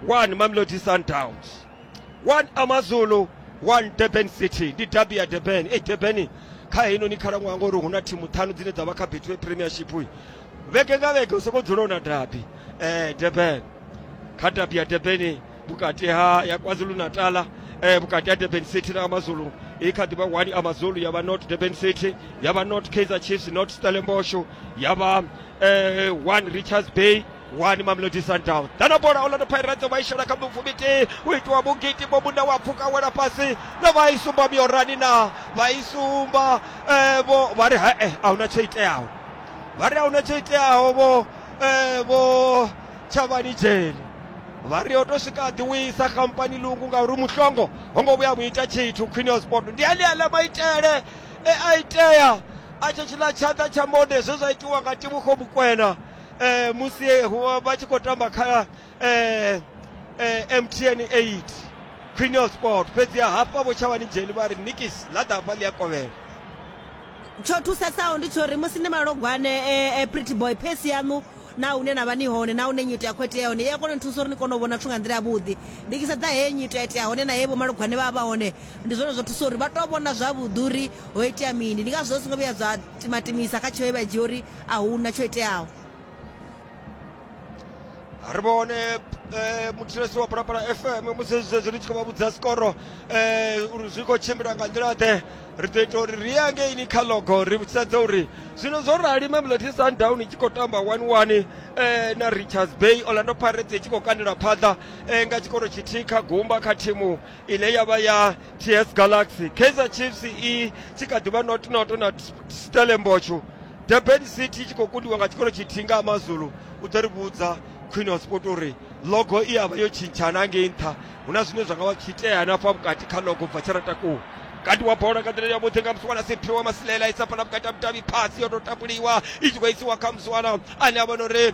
one mamelodi sundowns one amazulu one durban city ndi dabi ya durban e durban kha heinoni khalaṅwaha ngori hu na thimu ṱhanu dzine dza vha kha betway premiership vhege nga vhege u soko dzula u na dabi um durban kha dabi ya durbani vhukati ha ya kwazulu natala um vhukati ha durban city na amazulu i kha ḓivha one amazulu ya vha not durban city ya vha not kaizer chiefs not stellenbosho ya vha um one richards bay wani mamelodi sundowns dana bola orlando pirates vha i shela kha mifu mitee u itiwa mugiti bo munda wa pfuka wela fhasi na vha i sumba miorani na vha i sumba um vho vha ri hae a huna tsho iteaho vha ri ahuna tsho iteaho vho eh, vho tshavhani dzheni vha ri o to swika ḓi wisa khampani lungu ngauri muhlongo ho ngo vhuya muita tshithu khwine ya sport ndi aneaḽa maitele e a itea a tsho tshiḽa tshanḓa tsha mode zwe zwa itiwa nga tibukho mukwena um musi vha tshi khou tamba kha eh, eh, mtn 8 khwine ya sport fhedzi ya hafha vho tshavhani dzheni vha ri nikisi ḽa ḓa hafha ḽi a kovhela tsho thusesaho ndi tsho ri musi ni malogwane eh, eh, pretty boy phesi yaṋu na hune na vha ni hone na hune nyito ya khou itea hone i a kona u thusa uri ni kone u vhona zwithu nga nḓila yavhuḓi ndi kisa dza heye nyito ya itea hone na heye vhomalugwane vha vha hone ndi zwone zwo thusa uri vha tou vhona zwavhuḓi uri ho itea mini ndi ngazwo zwi songo vhuya zwa timatimisa kha tsheo ye vha dzhia uri a huna tsho iteaho ri vhone eh, muthetshelesi wa phalaphala fm musi zwezwi ri tshi khou vha vhudza sikoro eh, uri zwi khou tshimbila nga nḓila ḓe ri ḓo ita uri ri ye ngeini kha logo ri sedze uri zwino zwo rali mamelodi sundown i tshi khou tamba 11 eh, na richards bay orlando pirates i tshi khou kandela phaḓa eh, nga tshikoro tshithihi kha gumba kha thimu ine ya vha ya ts galaxy kaizer chiefs i tshi kha ḓi vha notnoto na stellenbosch durban city i tshi khou kundiwa nga tshikolo tshithihi nga amazulu u ḓo ri vhudza khwine wa sport uri logo i avha yo tshintshana ngei nṱha hu na zwine zwa nga vha zwi tshi itea hanafha vhukati kha logo bva tshi ratakuwa kati wa bola nga nḓila yavhuḓi nga musiwana sephiwa masilela isa fana vhukati ha vhudavhi phasi yo tou takuliwa i tshi khou isiwa kha musiwana ane a vhona uri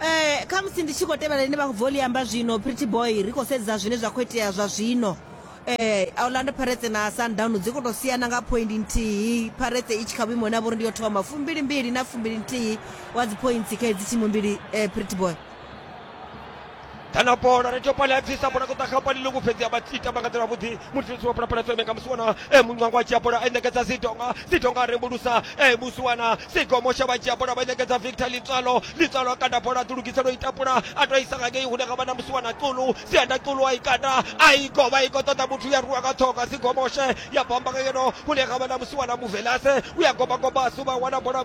Eh, kha musi ndi tshi khou tevhela ine vha khou bva u ḽi amba zwino pretty boy ri khou sedza zwine zwa khou itea zwa zwino eh orlando pirates na sundown dzi khou tou siana nga point nthihi pirates i tshi kha vhuimo na vhori ndi yo thoma fumbili mbili na fumbili nthihi wa dzi points kha hedzi thimu mbili eh pretty boy kana bola ri tou pale a bvisa bola ṱoḓa kha pali lungu fhedzi a vha ita vha nga nḓila vhuḓi mutshitshisi wa phalaphala fm nga musiwana e muncwango a dzhia bola a ṋekedza sidonga sidonga a rembulusa e musiwana sigomo sha vha dzhia bola vha ṋekedza victor litswalo litswalo a kanda bola a ḓulugisela u itapula a tou isa ngangei hune nga vha na musiwana ṱulu sianda ṱulu a i kanda a i govha i khou ṱoḓa muthu ya rwiwa nga ṱhoga sigomoshe ya bomba nga ngeno hune nga vha na musiwana muvelase u ya gobagoba a suvha wana bola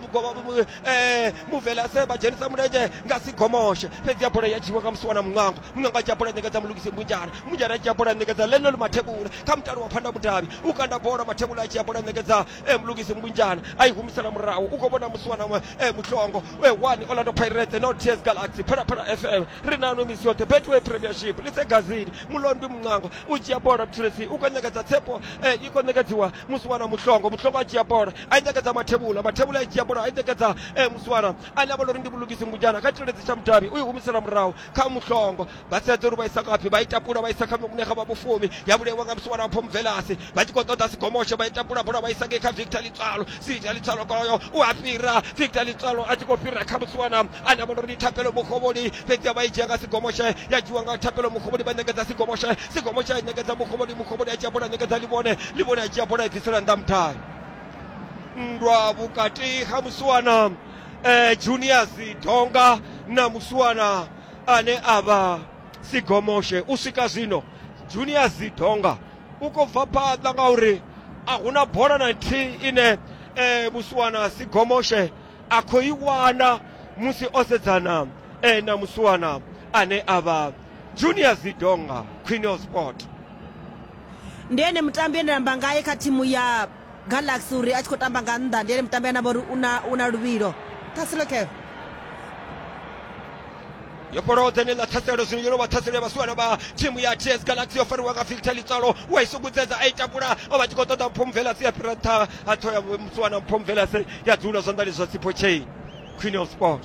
eh, muvele a seba dzhenisa mulenzhe nga si gomoshe fhedzi ya bola ya dzhiwa nga musi wana muṅwango muṅwango a dzhia bola ṋekedza mulugisi mbunjana mbunjana a dzhia bola ṋekedza lenol mathebula kha mutalo wa phanda mudavhi u kanda bola mathebula a dzhia bola ṋekedza eh, mulugisi mbunjana a i humisela murahu u khou vhona musi wana eh, muhlongo eh, one orlando pirates no ts galaxy phalaphala fm ri nano misi yoṱhe betway premiership lise gazini mulondwi muṅwango u dzhia bola butulesi u khou ṋekedza tsepo eh, i khou ṋekedziwa musi wana muhlongo muhlongo a dzhia bola a ṋekedza mathevhula mathevhula a dzhia bola a ṋekedza eh, muswara ane a vha uri ndi vhulugisi ngujana kha tshiledzi tsha mudavhi u i humisela murahu kha muhlongo vha sedza uri vha isa ngafhi vha i tapula vha isa kha vhune kha vha vhufumi ya vhulaiwa nga muswara pho mvelasi vha tshi khou ṱoḓa sigomoshe vha i tapula bola vha isa ngei kha victor litswalo sita litswalo koyo u a fhira victor litswalo a tshi khou fhira kha muswana ane a vha uri ndi thapelo mukhovholi fhedzi a vha i dzhia nga sigomoshe ya dzhiwa nga thapelo mukhovholi vha ṋekedza sigomoshe sigomoshe a ṋekedza mukhovholi mukhovholi a dzhia bola ṋekedza livhone livhone a dzhia bola i bvisela nnḓa mudavhi nndwa vhukati ha musiwana eh, juniors donga na musiwana ane a vha sigomoshe u swika zwino juniors donga u khou bva phanḓa ngauri a hu na bola na nthihi ine eh, musiwana sigomoshe a khou i wana musi o sedzana eh, na musiwana ane a vha junior zidonga queen of sport ndi ene mutambi ane namba ngae kha thimu ya galaxy uri a tshi khou tamba nga nnḓa ndi ene mutambi ane avha uri una una luvhilo thaselo kev yo fholaho dzene ḽa ṱhaselo zwino yo no vha ṱhaselo ya vhasiwana vha thimu ya ts galaxy yo fariwa nga filter litswalo wa i sukudza a i takula o vha tshi khou ṱoḓa mphomvelase ya fhira nṱha a ṱhoya musiwana mphomvelase ya dzula zwanḓani zwa sipho chain queen of sport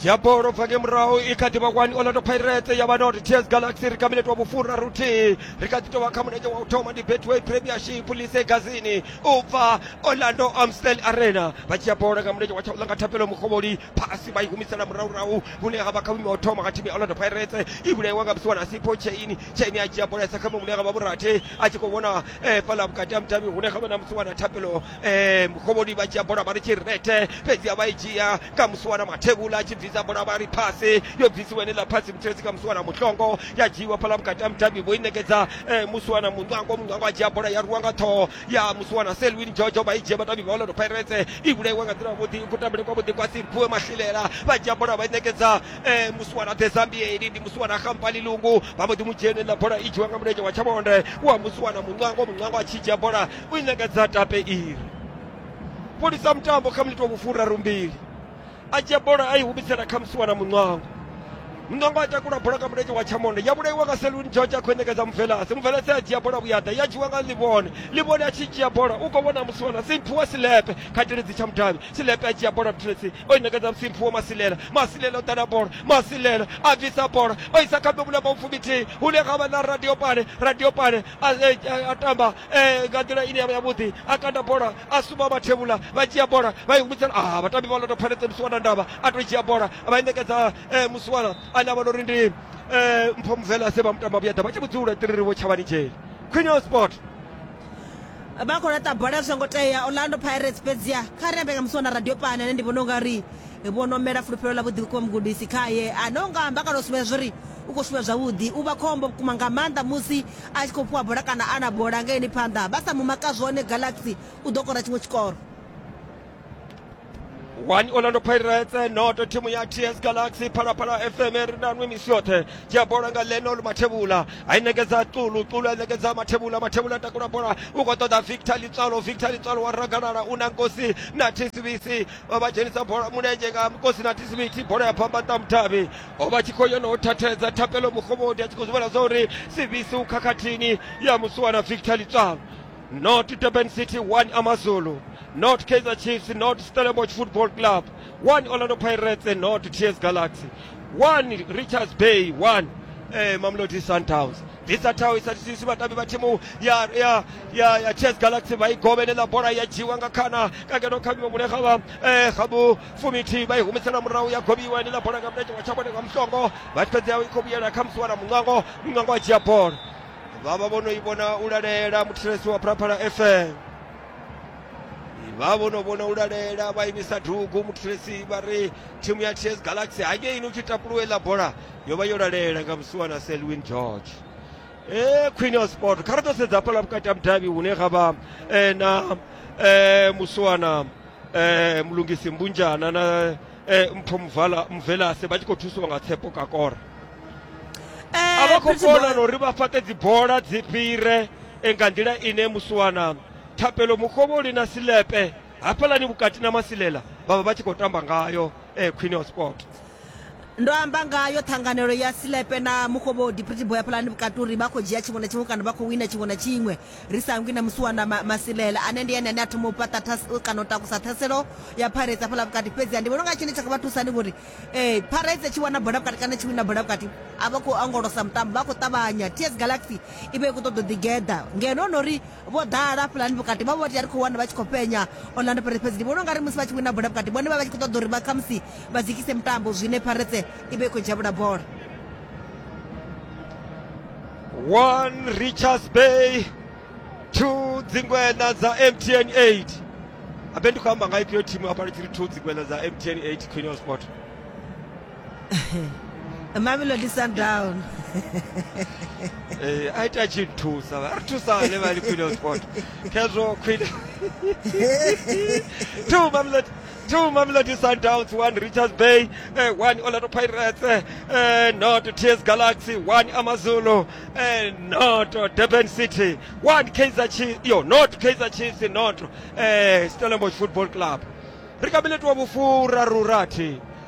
dzhia bola u bva nge murahu i kha ḓi vha kwani orlando pirates ya vha na uri ts galaxy ri kamiletwa wa vhufhura ruthihi ri kha ḓi tou vha kha mulenzhe wa u thoma ndi betway premiership lise gazini u bva orlando amstel arena vha dzhia bola nga mulenzhe wa tshaulanga thapelo mukhovholi phasi vha i humisela murahurahu hune ha vha kha vhuimo wa u thoma kha thimu ya orlando pirates i vhulaiwa nga musiwana sipo chaini chaini a dzhia bola isa kha muṅwe hune ha vha vhurathi a tshi khou vhona fhala vhukati ha mudavhi hune kha vha na musiwana thapelo E, mukhovhoni vha dzhia bola vha ri tshi rethe fhedzi a vha i dzhia kha musi wana mathevhula a tshi bvisa bola vha ri phasi yo bvisiwa ene ḽa phasi mutsiretsi kha musi wana mutlongo ya dzhiiwa fhaḽa vhukati ha mudavhi vho i ṋekedza e, musi wana muṋwango muṋwango a dzhia bola ya rwiwa nga ṱhoho ya musi wana selwin jojo vha i dzhia vhadavhi vha orlando pirates i vhulaiwa nga nḓila yavhuḓi kutambele kwavhuḓi kwa simphiwe mahlilela vha dzhia bola vha i ṋekedza e, musi wana dezambieli ndi musi wana khampani lungu vha mbo ḓi mu dzhia ene ḽa bola i dzhiwa nga mulenzhe wa tshavhonde wa musi wana muṋwango muṋwango a tshi dzhia bola u i ṋekedza tape iri fholisa mutambo kha miniti wa vhufuraru mbili a dzhia bola a i humisela kha musiwa na muṋwango muṋwango a takula bola nga mulenzhe wa tshamonde ya vhulaiwa nga seluni george a khou i ṋekedza muvelase muvelase a dzhia bola vhuyaḓa ya dzhiwa nga ḽivhone ḽivhone a tshi dzhia bola u khou vhona musiwa na simphu wa silepe kha teledzi tsha mudavhi silepe a dzhia bola muthelesi o i ṋekedza musimphu wa masilela masilela o ḓala bola masilela a bvisa bola o isa kha ḓobula maufumi thihi hune ga vha na radio pane radio pane a, a, a tamba eh, nga nḓila ine yavha yavhuḓi a kanda bola a suma vhathevhula vha dzhia bola vha i humisela ah vhatambi vha loto pfanetse musiwana ndavha a to dzhia bola vha i ṋekedza eh, musiwana ane a vha nori ndi eh, mpho muvela se vha mutamba vhuya ḓa vha tshi vhudzula tiririwo tshavhani dzheli queen sport vha khou laṱa bola zwi songo tea orlando pirates fhedzia kha ri ambe nga musi wana radio pane ane ndi vhona unga ri vho no mela fulufhelo ḽa vhuḓi vhukuma mugudisi khaye ane u nga amba kana u sumbedza zwo ri u khou shuma zwavhuḓi u vha khombo vhukuma nga maanḓa musi a tshi khou fhiwa bola kana a na bola nga ene phanḓa vha sa mu maka zwone galaxy u ḓo kora tshiṅwe tshikoro 1 orlando pirates noto thimu ya ts galaxy phalaphala fm ri na nwi misi yoṱhe dzhia bola nga lenol mathevhula a i nekedza ṱulu ṱulu a i nekedza mathevhula mathevhula takula bola u khou ṱoḓa victor litswalo victor litswalo wa ragalala u na nkosi na tsbc vha dzhenisa bola mulenzhe nga nkosi na tsbc bola ya phamba nṱamutavhi o vha tshi khou yo no thathedza thapelo mugovhodi a tshi khou zwi vhona zwa uri sivisi u khakhathini ya musuwana victor litswalo not durban city 1 amazulu not kaizer chiefs not stellenbosch football club 1 orlando pirates not ts galaxy 1 richards bay 1 eh, mamlodi sundowns bvisa thaho i satisisi vhatambi vha thimu ya ya ya ya chess galaxy vha i govhelela bola ya dzhiwa nga khana ka ngeno kha vhiwe mulega vha eh, gabu fumithihi vha i humisela murahu ya govhiwa heneiḽa bola nga mulenzhe wa tshabone nga musongo vha tshi fhedzea i khou vhuyela kha musi wana muṅwango muṅwango a dzhia bola vha vha vho no i vhona u lalela muthetshelesi wa phalaphala fm vha vho no vhona u lalela vha imisa dugu muthetshelesi vha ri thimu ya ts galaxy hangeini u tshi tapuluwa iḽa bola yo vha yo lalela nga musi wana selwin george e khwine ya sport kha ri ḓo sedza hafhaḽa vhukati ha mudavhi hune ga vha na musiwana eh mulungisi mbunjana na eh mpho mvala mvelase vha tshi khou thusiwa nga tshepo kakora eh, a vha khou kona na uri vha fhaṱe dzibola dzi fhire eh, nga nḓila ine musiwana thapelo mukhovholi na silepe hafhalani vhukati na masilela vha vha vha tshi khou tamba ngayo eh, queen of sport Ndo amba ngayo ṱhanganelo ya Silepe na Mufhovhodi, Pretty Boy ya Phalani Vhukati uri vha khou dzhia tshiṅwe na tshiṅwe kana vha khou wina tshiṅwe na tshiṅwe. Ri sa hangwi na musiwana Ma, Masilela ane ndi ene ane a thoma u fhaṱa thas, kana u takusa ṱhaselo ya Pirates hafhaḽa vhukati. Fhedziha ndi vhona unga tshine tsha nga vha thusa ndi vhori eh, Pirates tshi wana bola vhukati kana tshi wina bola vhukati a vha khou ongolosa mutambo, vha khou ṱavhanya. TS Galaxy i vha i khou ṱoḓa u ḓigeḓa ngeno no ri vho ḓala hafhaḽani vhukati vha vho vha tea ri khou wana vha tshi khou penya orlando pirates fhedzi ndi vhona ungari musi vha tshi wina bola vhukati vhone vha vha tshi khou ṱoḓa uri vha khamusi vha dzikise mutambo zwine pirates i vha i khou dzhavhula bola one richards bay two dzingwena dza mtn 8 abe ndi khou amba nga ifhio thimu hafha ndi tshi ri two dzingwena dza mtn 8 queen of sport mamelodi sundown Eh, a ita tshi nthusa vha ri thusa vhane vha li queen of sport khezwo queen two mamelodi two mamelodi sundowns one richards bay eh, one orlando pirates eh, eh, not ts galaxy one amazulu eh, not durban city one kaizer chiefs yo not kaizer chiefs not eh, stellenbosch football club ri ka mileti wa vhufurarurathi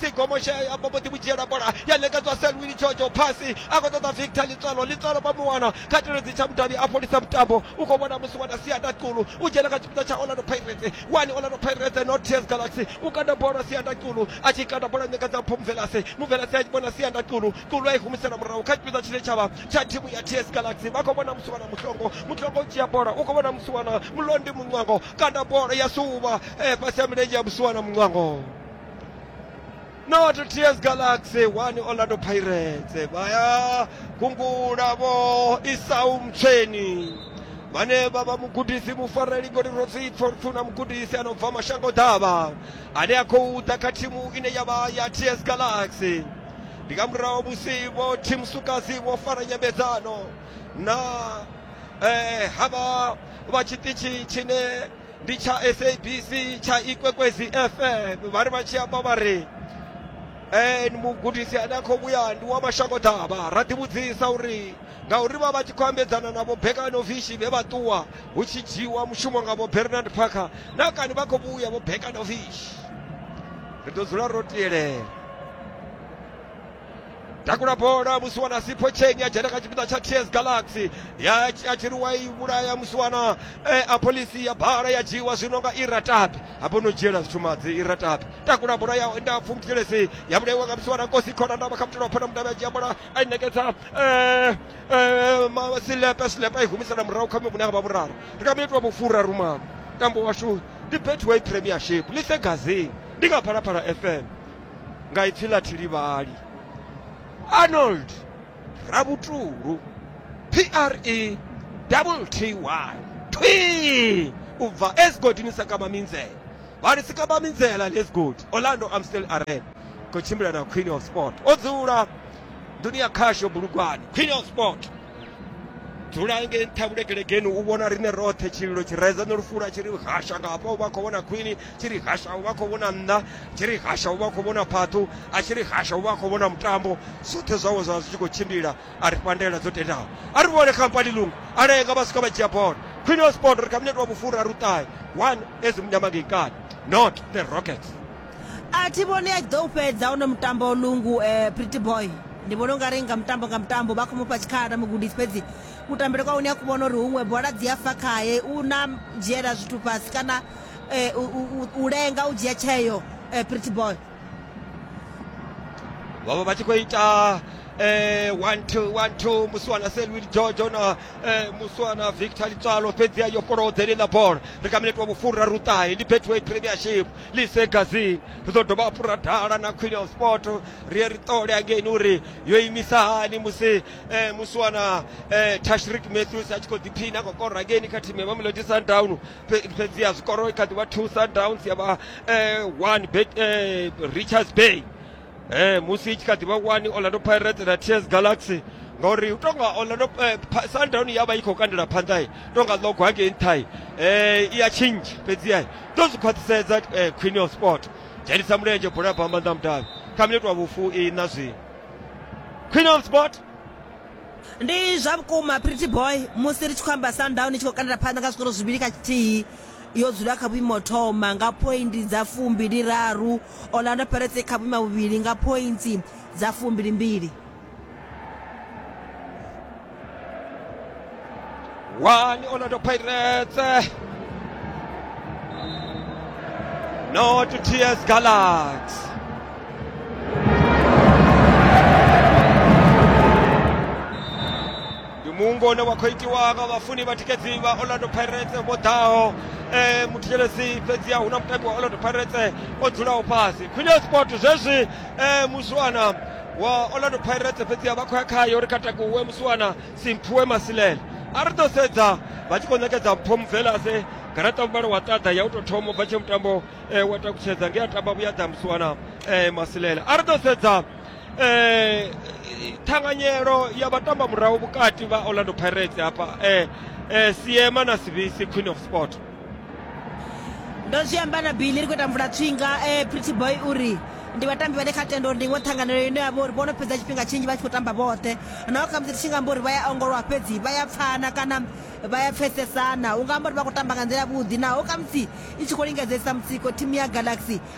sigomo she a vha mbo ḓi vhudzhiela bola ya ṋekedzwa selwini jojo phasi a khou ṱoḓa victor litswalo litswalo vha mu wana kha teledzi tsha mudavhi a fholisa mutambo u khou vhona musi wana sianda qulu u dzhena kha tshipiḓa tsha orlando pirates wani orlando pirates not tears galaxy u kanda bola sianda qulu a tshi kanda bola ṋekedza mpho muvelase muvelase a tshi vhona sianda qulu qulu a i humisela murahu kha tshipiḓa tshine tshavha tsha thimu ya tears galaxy vha khou vhona musi wana muhlongo muhlongo u dzhia bola u khou vhona musi wana mulondi muṅwango kanda bola ya suvha eh, fhasi ya milenzhe ya musi wana muṅwango not ts galaxy 1 orlando pirates vha ya gungula vho isau mtsheni vhane vha vha mugudisi mufareli goli rotsipfo nthu na mugudisi a no bva mashango ḓavha ane a khou ḓa kha thimu ine ya vha ya ts galaxy ndi nga murahu musi vho team sukazi vho fara nyambedzano na eh, havha vha tshiṱitshi tshine ndi tsha sabc tsha ikwekwezi fm vha ri vha tshi amba vha ri eh, mugudisi ane a khou vhuya ndi wa mashango ḓavha ra ḓivhudzisa uri ngauri vha vha tshi khou ambedzana na vhobekanovishi vhe vha ṱuwa hu tshi dzhiiwa mushumo nga vho bernard parker na kani vha khou vhuya vhobekanovishi ri ḓo dzula ro tielela takula bola musiwana sipho cheni ya dzhena kha tshipiḓa tsha ts galaxy ya a tshi ri wa i vhulaya musiwana eh, a pholisi ya bala ya dzhiiwa zwino nga iratabi hafho no dzhiela zwitshumadzi iratabi takula bola ya nda pfumuthelesi ya vhulaiwa nga musiwana kosi khona ndavha kha mutelo wa phona mudavhi a dzhia bola a i nekedza eh, eh, ma- silepe silepe a i humisela murahu kha mivhune a vha vhuraru ndi nga minitwa vhufura rumalo tambo washu ndi betway premiership lisegazini ndi nga phalaphala fm nga ipfi ḽa Thilivhali, Arnold Rabutulu, PRE double TY, thwii, u bva e zwigodini sa kamba minzela. Vha ri si kamba minzela ḽe zwigodi, Orlando Amstel Arena, khou tshimbila na Queen of Sport. O dzula nḓuni ya khasho Bulugwane, Queen of Sport. dzula nge nṱha vhulekelegeni u vhona riṋe roṱhe tshililo tshi redza no lufula tshi ri hasha nga hafha u vha khou vhona khwini tshi ri hasha u vha khou vhona nṋa tshi ri hasha u vha khou vhona phaṱhu a tshi ri hasha u vha khou vhona mutambo zwoṱhe zwawe zwa zwi tshi khou tshimbila a ri fhandela dzo tendaho a ri vhone khampani lungu a lenga vha swika vha dzhia bola khwini wa sport ri kha minete wa vhufura ri u ṱahe one ezimunyamangekani not the rockets a thi vhoni a tshi ḓo u fhedza hono mutambo lungu um pretty boy ndi vhona ungari nga mutambo nga mutambo vha khou mufha tshikhala mugudisi fhedzi kutambele kwa hune a ku vhona uri huṅwe bola dzi a fa khaye u na dzhiela zwithu fhasi kana um u lenga u dzhia tsheo um pretty boy vha vha vha tshi khou ita eh, one two one two muswana selwil george ona eh, muswana victor litswalo fhedzi ayo fholodzele ḽa bola ri kha minete wa vhufuraruṱahe ndi betway premiership lise gazi ri ḓo dovha hafhu ra dala na queen of sport ri ye ri ṱole angeini uri yo imisa hani musi eh, musi wana eh, tashrik matthews a tshi khou ḓiphina khou kora angeini kha thimu ya mamelodi sundown Fhe- fhedziha zwikoro i kha ḓi vha two sundowns ya vha eh, one bet, eh, richards bay eh musi i tshi kha ḓi vha wani orlando pirates na ts galaxy ngauri u tonga orlando eh, Pa- sundown ya vha i khou kandela phanḓa i tonga ḽogo hangei nṱha i eh, i ya tshinzhi fhedziha i ḓo zwi khwaṱhisedza eh, queen of sport dzhenisa mulenzhe bola ya bva maanḓa mudavhi kha minete wa vhufu i na zwino queen of sport ndi zwa vhukuma pretty boy musi ri tshi khou amba sundown i tshi khou kandela phanḓa nga zwikoro zwivhili kha tshithihi yo dzula kha vhuimo thoma nga poindi dza fumbili raru Orlando Pirates i kha vhuima vhuvhili nga phointsi dza fumbilimbili. One Orlando Pirates. No to TS Galaxy. ndi muungo une wa khou itiwa nga vhafuni vha tikedzi vha orlando pirates vho ḓaho um muthetshelesi fhedziha hu na mutambi wa orlando pirates o dzulaho fhasi queen sport zwezwi um muswana wa orlando pirates fhedziha vha khou ya khayo ri katakuwe muswana simphuwe masilele a ri ḓo sedza vha tshi khou ṋekedza mpho mubvelase garaṱa muvhalo wa ṱaḓa ya u tou thoma bva tshe mutambo um wa takutshedza nge a tamba vhuyaḓa muswana um masilele a ri ḓo sedza eh thanganyelo ya vhatamba murahu vhukati vha Orlando Pirates hafha eh eh Siema na Sibisi Queen of Sport ndo zwi amba na bili ri khou ita mvula tswinga eh pretty boy uri ndi vhatambi vhane kha tendo uri ndi iṅwe ṱhanganelo ine ya vha uri vho no fhedza tshifhinga tshinzhi vha tshi khou tamba vhoṱhe naho kha musi ri tshi nga amba uri vha ya ongolowa fhedzi vha ya pfana kana vha ya pfesesana u nga amba uri vha khou tamba nga nḓila vhuḓi naho kha musi i tshi khou lingedzesa mutsiko thimu ya galaxy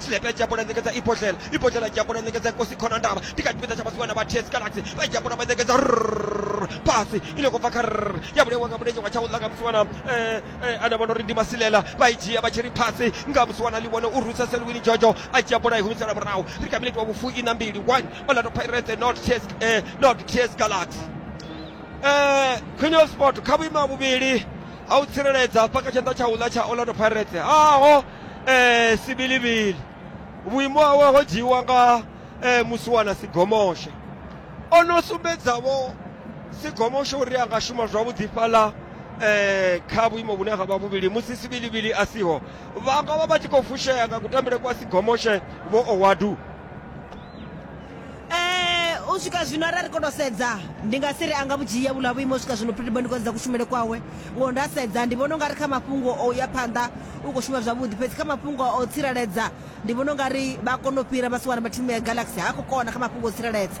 Tshilepe Japo ḽa ṋekedza Ibodlela Ibodlela Japo ḽa ṋekedza Nkosi Khonondaba Ndi kha tshipiḓa tsha vhasiwana vha TS Galaxy Vha Japo ḽa vha ṋekedza Rrrr Phasi i no khou bva kha rrrr Ya vhulaiwa nga mulenzhe wa tsha u ḽa nga musiwana eh eh Ane a vhona uri ndi masilela Vha i dzhia vha tshi ri phasi nga musiwana ḽi vhone U rwisa Selwini Jojo a dzhia bola a i humisela murahu Ri kha minete wa vhufuiṋa mbili one Orlando Pirates not TS eh not TS Galaxy eh Khwine Hotspot kha vhuimo ha vhuvhili ha u tsireledza hafha kha tshanḓa tsha u ḽa tsha Orlando Pirates haho. eh, sibilivili vhuimo hawe ho dzhiiwa nga eh, musiwana sigomoshe o no sumbedzavho sigomoshe uri a nga shuma zwavhuḓi fhaḽa eh, kha vhuimo vhune ha vha vhuvhili musi sibilivili a siho vha nga vha vha tshi khou fushea nga kutambele kwa sigomoshe vho owadu Eh, u swika zwino arali ri kono sedza ndi nga si ri a nga vhudzhia vhula vhuimo u swika zwino pretty boy ndi khou sedza kushumele kwawe ngo nda sedza ndi vhona ungari kha mafhungo o ya phanḓa u khou shuma zwavhuḓi fhedzi kha mafhungo o tsireledza ndi vhona ungari vha kono u fhira vha si wana vha thimu ya galaxy ha khou kona kha mafhungo o tsireledza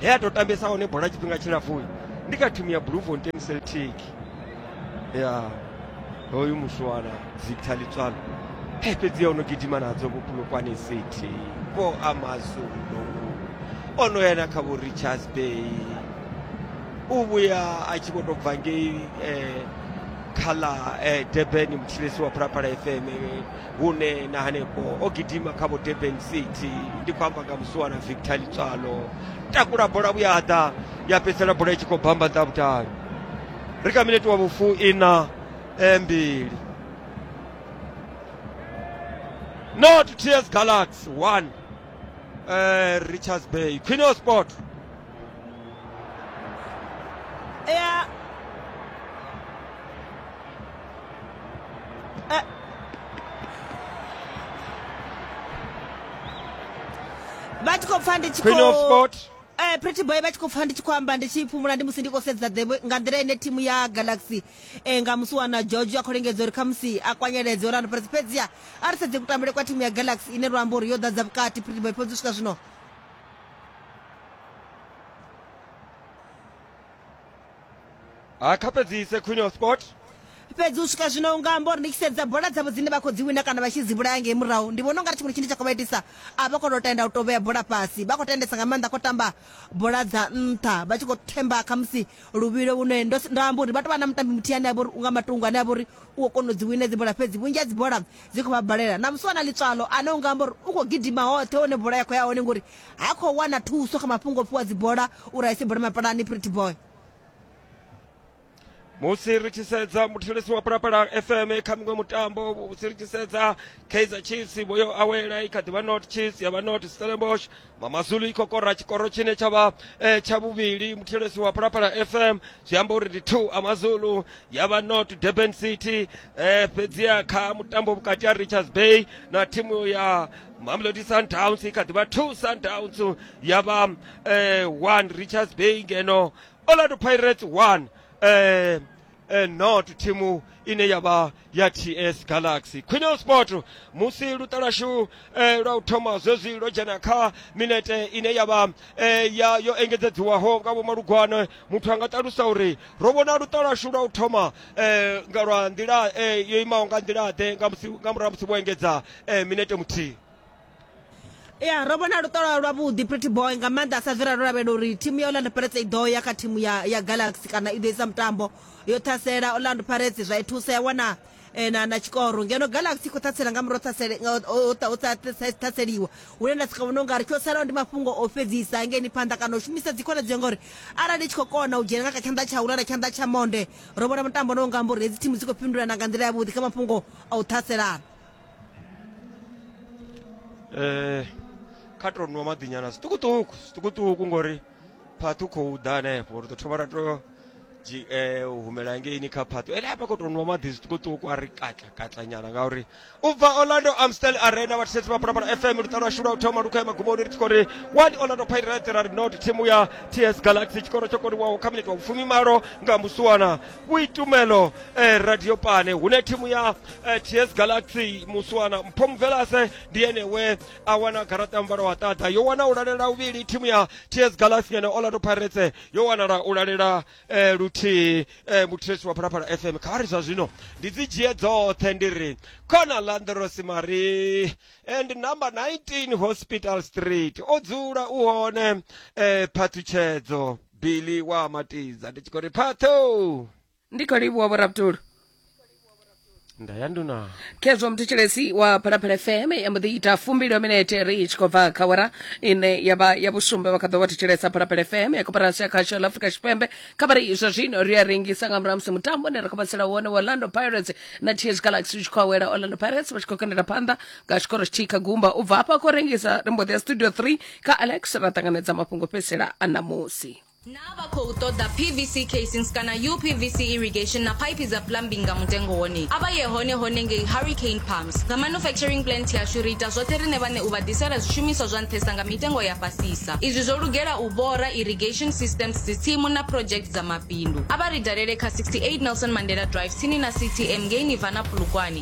he a tou tambesa hone bola tshifhinga tshilapfu ndi kha thimu ya bloemfontein celtic ya hoyu muswana victor litswalo he fhedzi ya o no gidima nadzo vho pulukwane city vho amazulu o no ya na kha vho richards bay u vhuya a tshi vho tou bva ngei eh, kha ḽa eh, durban muthilesi wa phalaphala fm hune na hanefho o gidima kha vho durban city ndi khou amba nga musuwa na victor litswalo takula bola vhuyaḓa ya fhedzisela bola i tshi khou bamba nḓa vhutali ri kha minete wa vhufu ina eh, mbili not ts galaxy 1 eh, richards bay queen of sport いやえっvha tshi khou pfa ndi tshi Queen of khou Sport. eh pretty boy vha tshi khou pfa ndi tshi khou amba ndi tshi fhumula ndi musi ndi khou sedza the way- nga nḓila ine thimu ya galaxy eh nga musi wana george a khou lingedza uri khamusi a kwanyeledze orlando pirates fhedziha a ri sedze kutambele kwa thimu ya galaxy ine lwa amba uri yo ḓadza vhukati pretty boy fhedzi u swika zwino ha kha fhedzise queen of sport fhedzi u swika zwino unga amba uri ndi tshi sedza bola dzavho dzine vha khou dzi wina kana vha tshi dzi vhulaya ngei murahu ndi vhona u nga ri tshiṅwe tshine tsha khou vha itisa a vha khou tou tenda u tou vhea bola fhasi vha khou tendesa nga maanḓa khou tamba bola dza nṱha vha tshi khou themba khamusi luvhilo vhune ndo s- ndo amba uri vha tou vha na mutambi muthihi ane a vha uri unga matungo ane a vha uri u khou kona u dzi wina dzi bola fhedzi vhunzhi ha dzi bola dzi khou vha balela na musi wana ḽitswalo ane u nga amba uri u khou gidima hoṱhe hone bola ya khou ya hone ngori ha khou wana thuso kha mafhungo o fhiwa dzibola uri a ise bola mapalani pretty boy musi ri tshi sedza muthetshelesi wa phalaphala fm kha miṅwe mutambo musi ri tshi sedza kaizer chiefs vho yo awela i kha ḓivha not chiefs ya vha not stellenbosch mamazulu i khou kora tshikoro tshine tsha vha eh, tsha vhuvhili muthelesi wa phalaphala fm zwi amba uri ndi two amazulu ya vha not durban city eh, fhedziha kha mutambo vhukati ha richards bay na thimu ya mamelodi sundowns i kha ḓivha two sundowns ya vha eh, one richards bay ngeno orlando pirates one eh, and not thimu ine ya vha ya ts galaxy quinel sport musi luṱa lwashu eh, lwa u thoma zwezwi lwo dzhena kha minete ine ya vha eh, ya yo engedzedziwaho nga vhomalugwane muthu a nga ṱalusa uri ro vhona luṱa lwashu lwa u thoma eh, nga lwa nḓila eh, yo imaho nga nḓila-ḓe nga musi- nga murahu ha musi vho engedza eh, minete muthihi ya ro vhona luṱolo lwavhuḓi pretty boy nga maanḓa a sa bvi ralo lavhelela uri thimu ya orlando pirates i ḓo ya kha thimu ya, ya galaxy kana i ḓo isa mutambo yo ṱhasela orlando pirates zwa i thusa ya wana eh, na, na tshikoro ngeno galaxy i khou ṱhasela nga murahu ṱhasele- nga- o- o- o- o sa ṱhase- ṱhaseliwa hune nda sika vhona ungari tsho salaho ndi mafhungo o fhedzisa ngeni phanḓa kana u shumisa dzikhonadzeo ngori arali i tshi khou kona u dzhena nga kha tshanḓa tsha ulala tshanḓa tsha monde ro vhona mutambo no nga mbori hedzi thimu dzi khou fhindulana nga nḓila yavhuḓi kha mafhungo a u ṱhaselana eh kha to nwa maḓi nyana zwiṱukuṱuku zwiṱukuṱuku ngori phaṱhu khou ḓa hanefho ri ḓo thoma ra to dzi eh u humela ngeini kha phaṱhu ene hafha khou to nwa maḓi zwiṱukuṱuku a ri katla katla nyana ngauri u bva orlando amstel arena vhathetshetsi vha phalaphala fm luṱa lwa shula u thoma lu khou ya magumoni ri tshi khou ri one orlando pirates ra ri not thimu ya ts galaxy tshikoro tsho koniwaho kha minete wa vhufumi malo nga musuwana kuitumelo eh, radio pane hune thimu ya eh, ts galaxy muswana mpho mvelase ndi ene we a wana garaṱa mvalo wa ṱaḓa yo wana u lalela uvhili thimu ya ts galaxy ngeno orlando pirates yo wanala u lalela eh, luthihi eh, muthiresi wa phalaphala fm kha ri zwa zwino ndi dzi dzhie dzoṱhe ndi ri khona landros marie and number 19 hospital street o dzula u hone eh, phaṱhutshedzo bili wa matidza ndi tshi khou ri phatho ndi khou livhuwa vhorabdulu nda ya nduna khezwo mthetshelesi wa phalaphala fm ya mbo ḓi ita fumbili minete ri tshi khou bva kha wara ine ya vha ya vhusumbe vha kha ḓo vha thetshelesa phalaphala fm ya koperasi ya khasho la afrika tshipembe kha vha ri izwa zwino ri a rengisa nga murahu ha musi mutambo ne ra khou vhatsela wone wa orlando pirates na ts galaxy u tshi khou awela orlando pirates vha tshi khou kandela phanḓa nga tshikoro tshithihi kha gumba u bva hafha khou rengisa ri mbo ḓi ya studio 3 kha alex ra ṱanganedza mafhungo fhedzisela a ṋamusi naa vha khou ṱoḓa pvc casings kana upvc irrigation na phaiphi dza plumbing nga mutengo wone a vha ye hone hone ngei hurricane pumps nga manufacturing plant yashu ri ita zwoṱhe riṋe vhane u vha ḓisela zwishumiswa zwa nṱhesa nga mitengo ya fhasisa izwi zwo lugela u bora irrigation systems dzitsimu na project dza mabindu a vha ri dalele kha 68 nelson mandela drive tsini na ctm ngei nivana phulukwani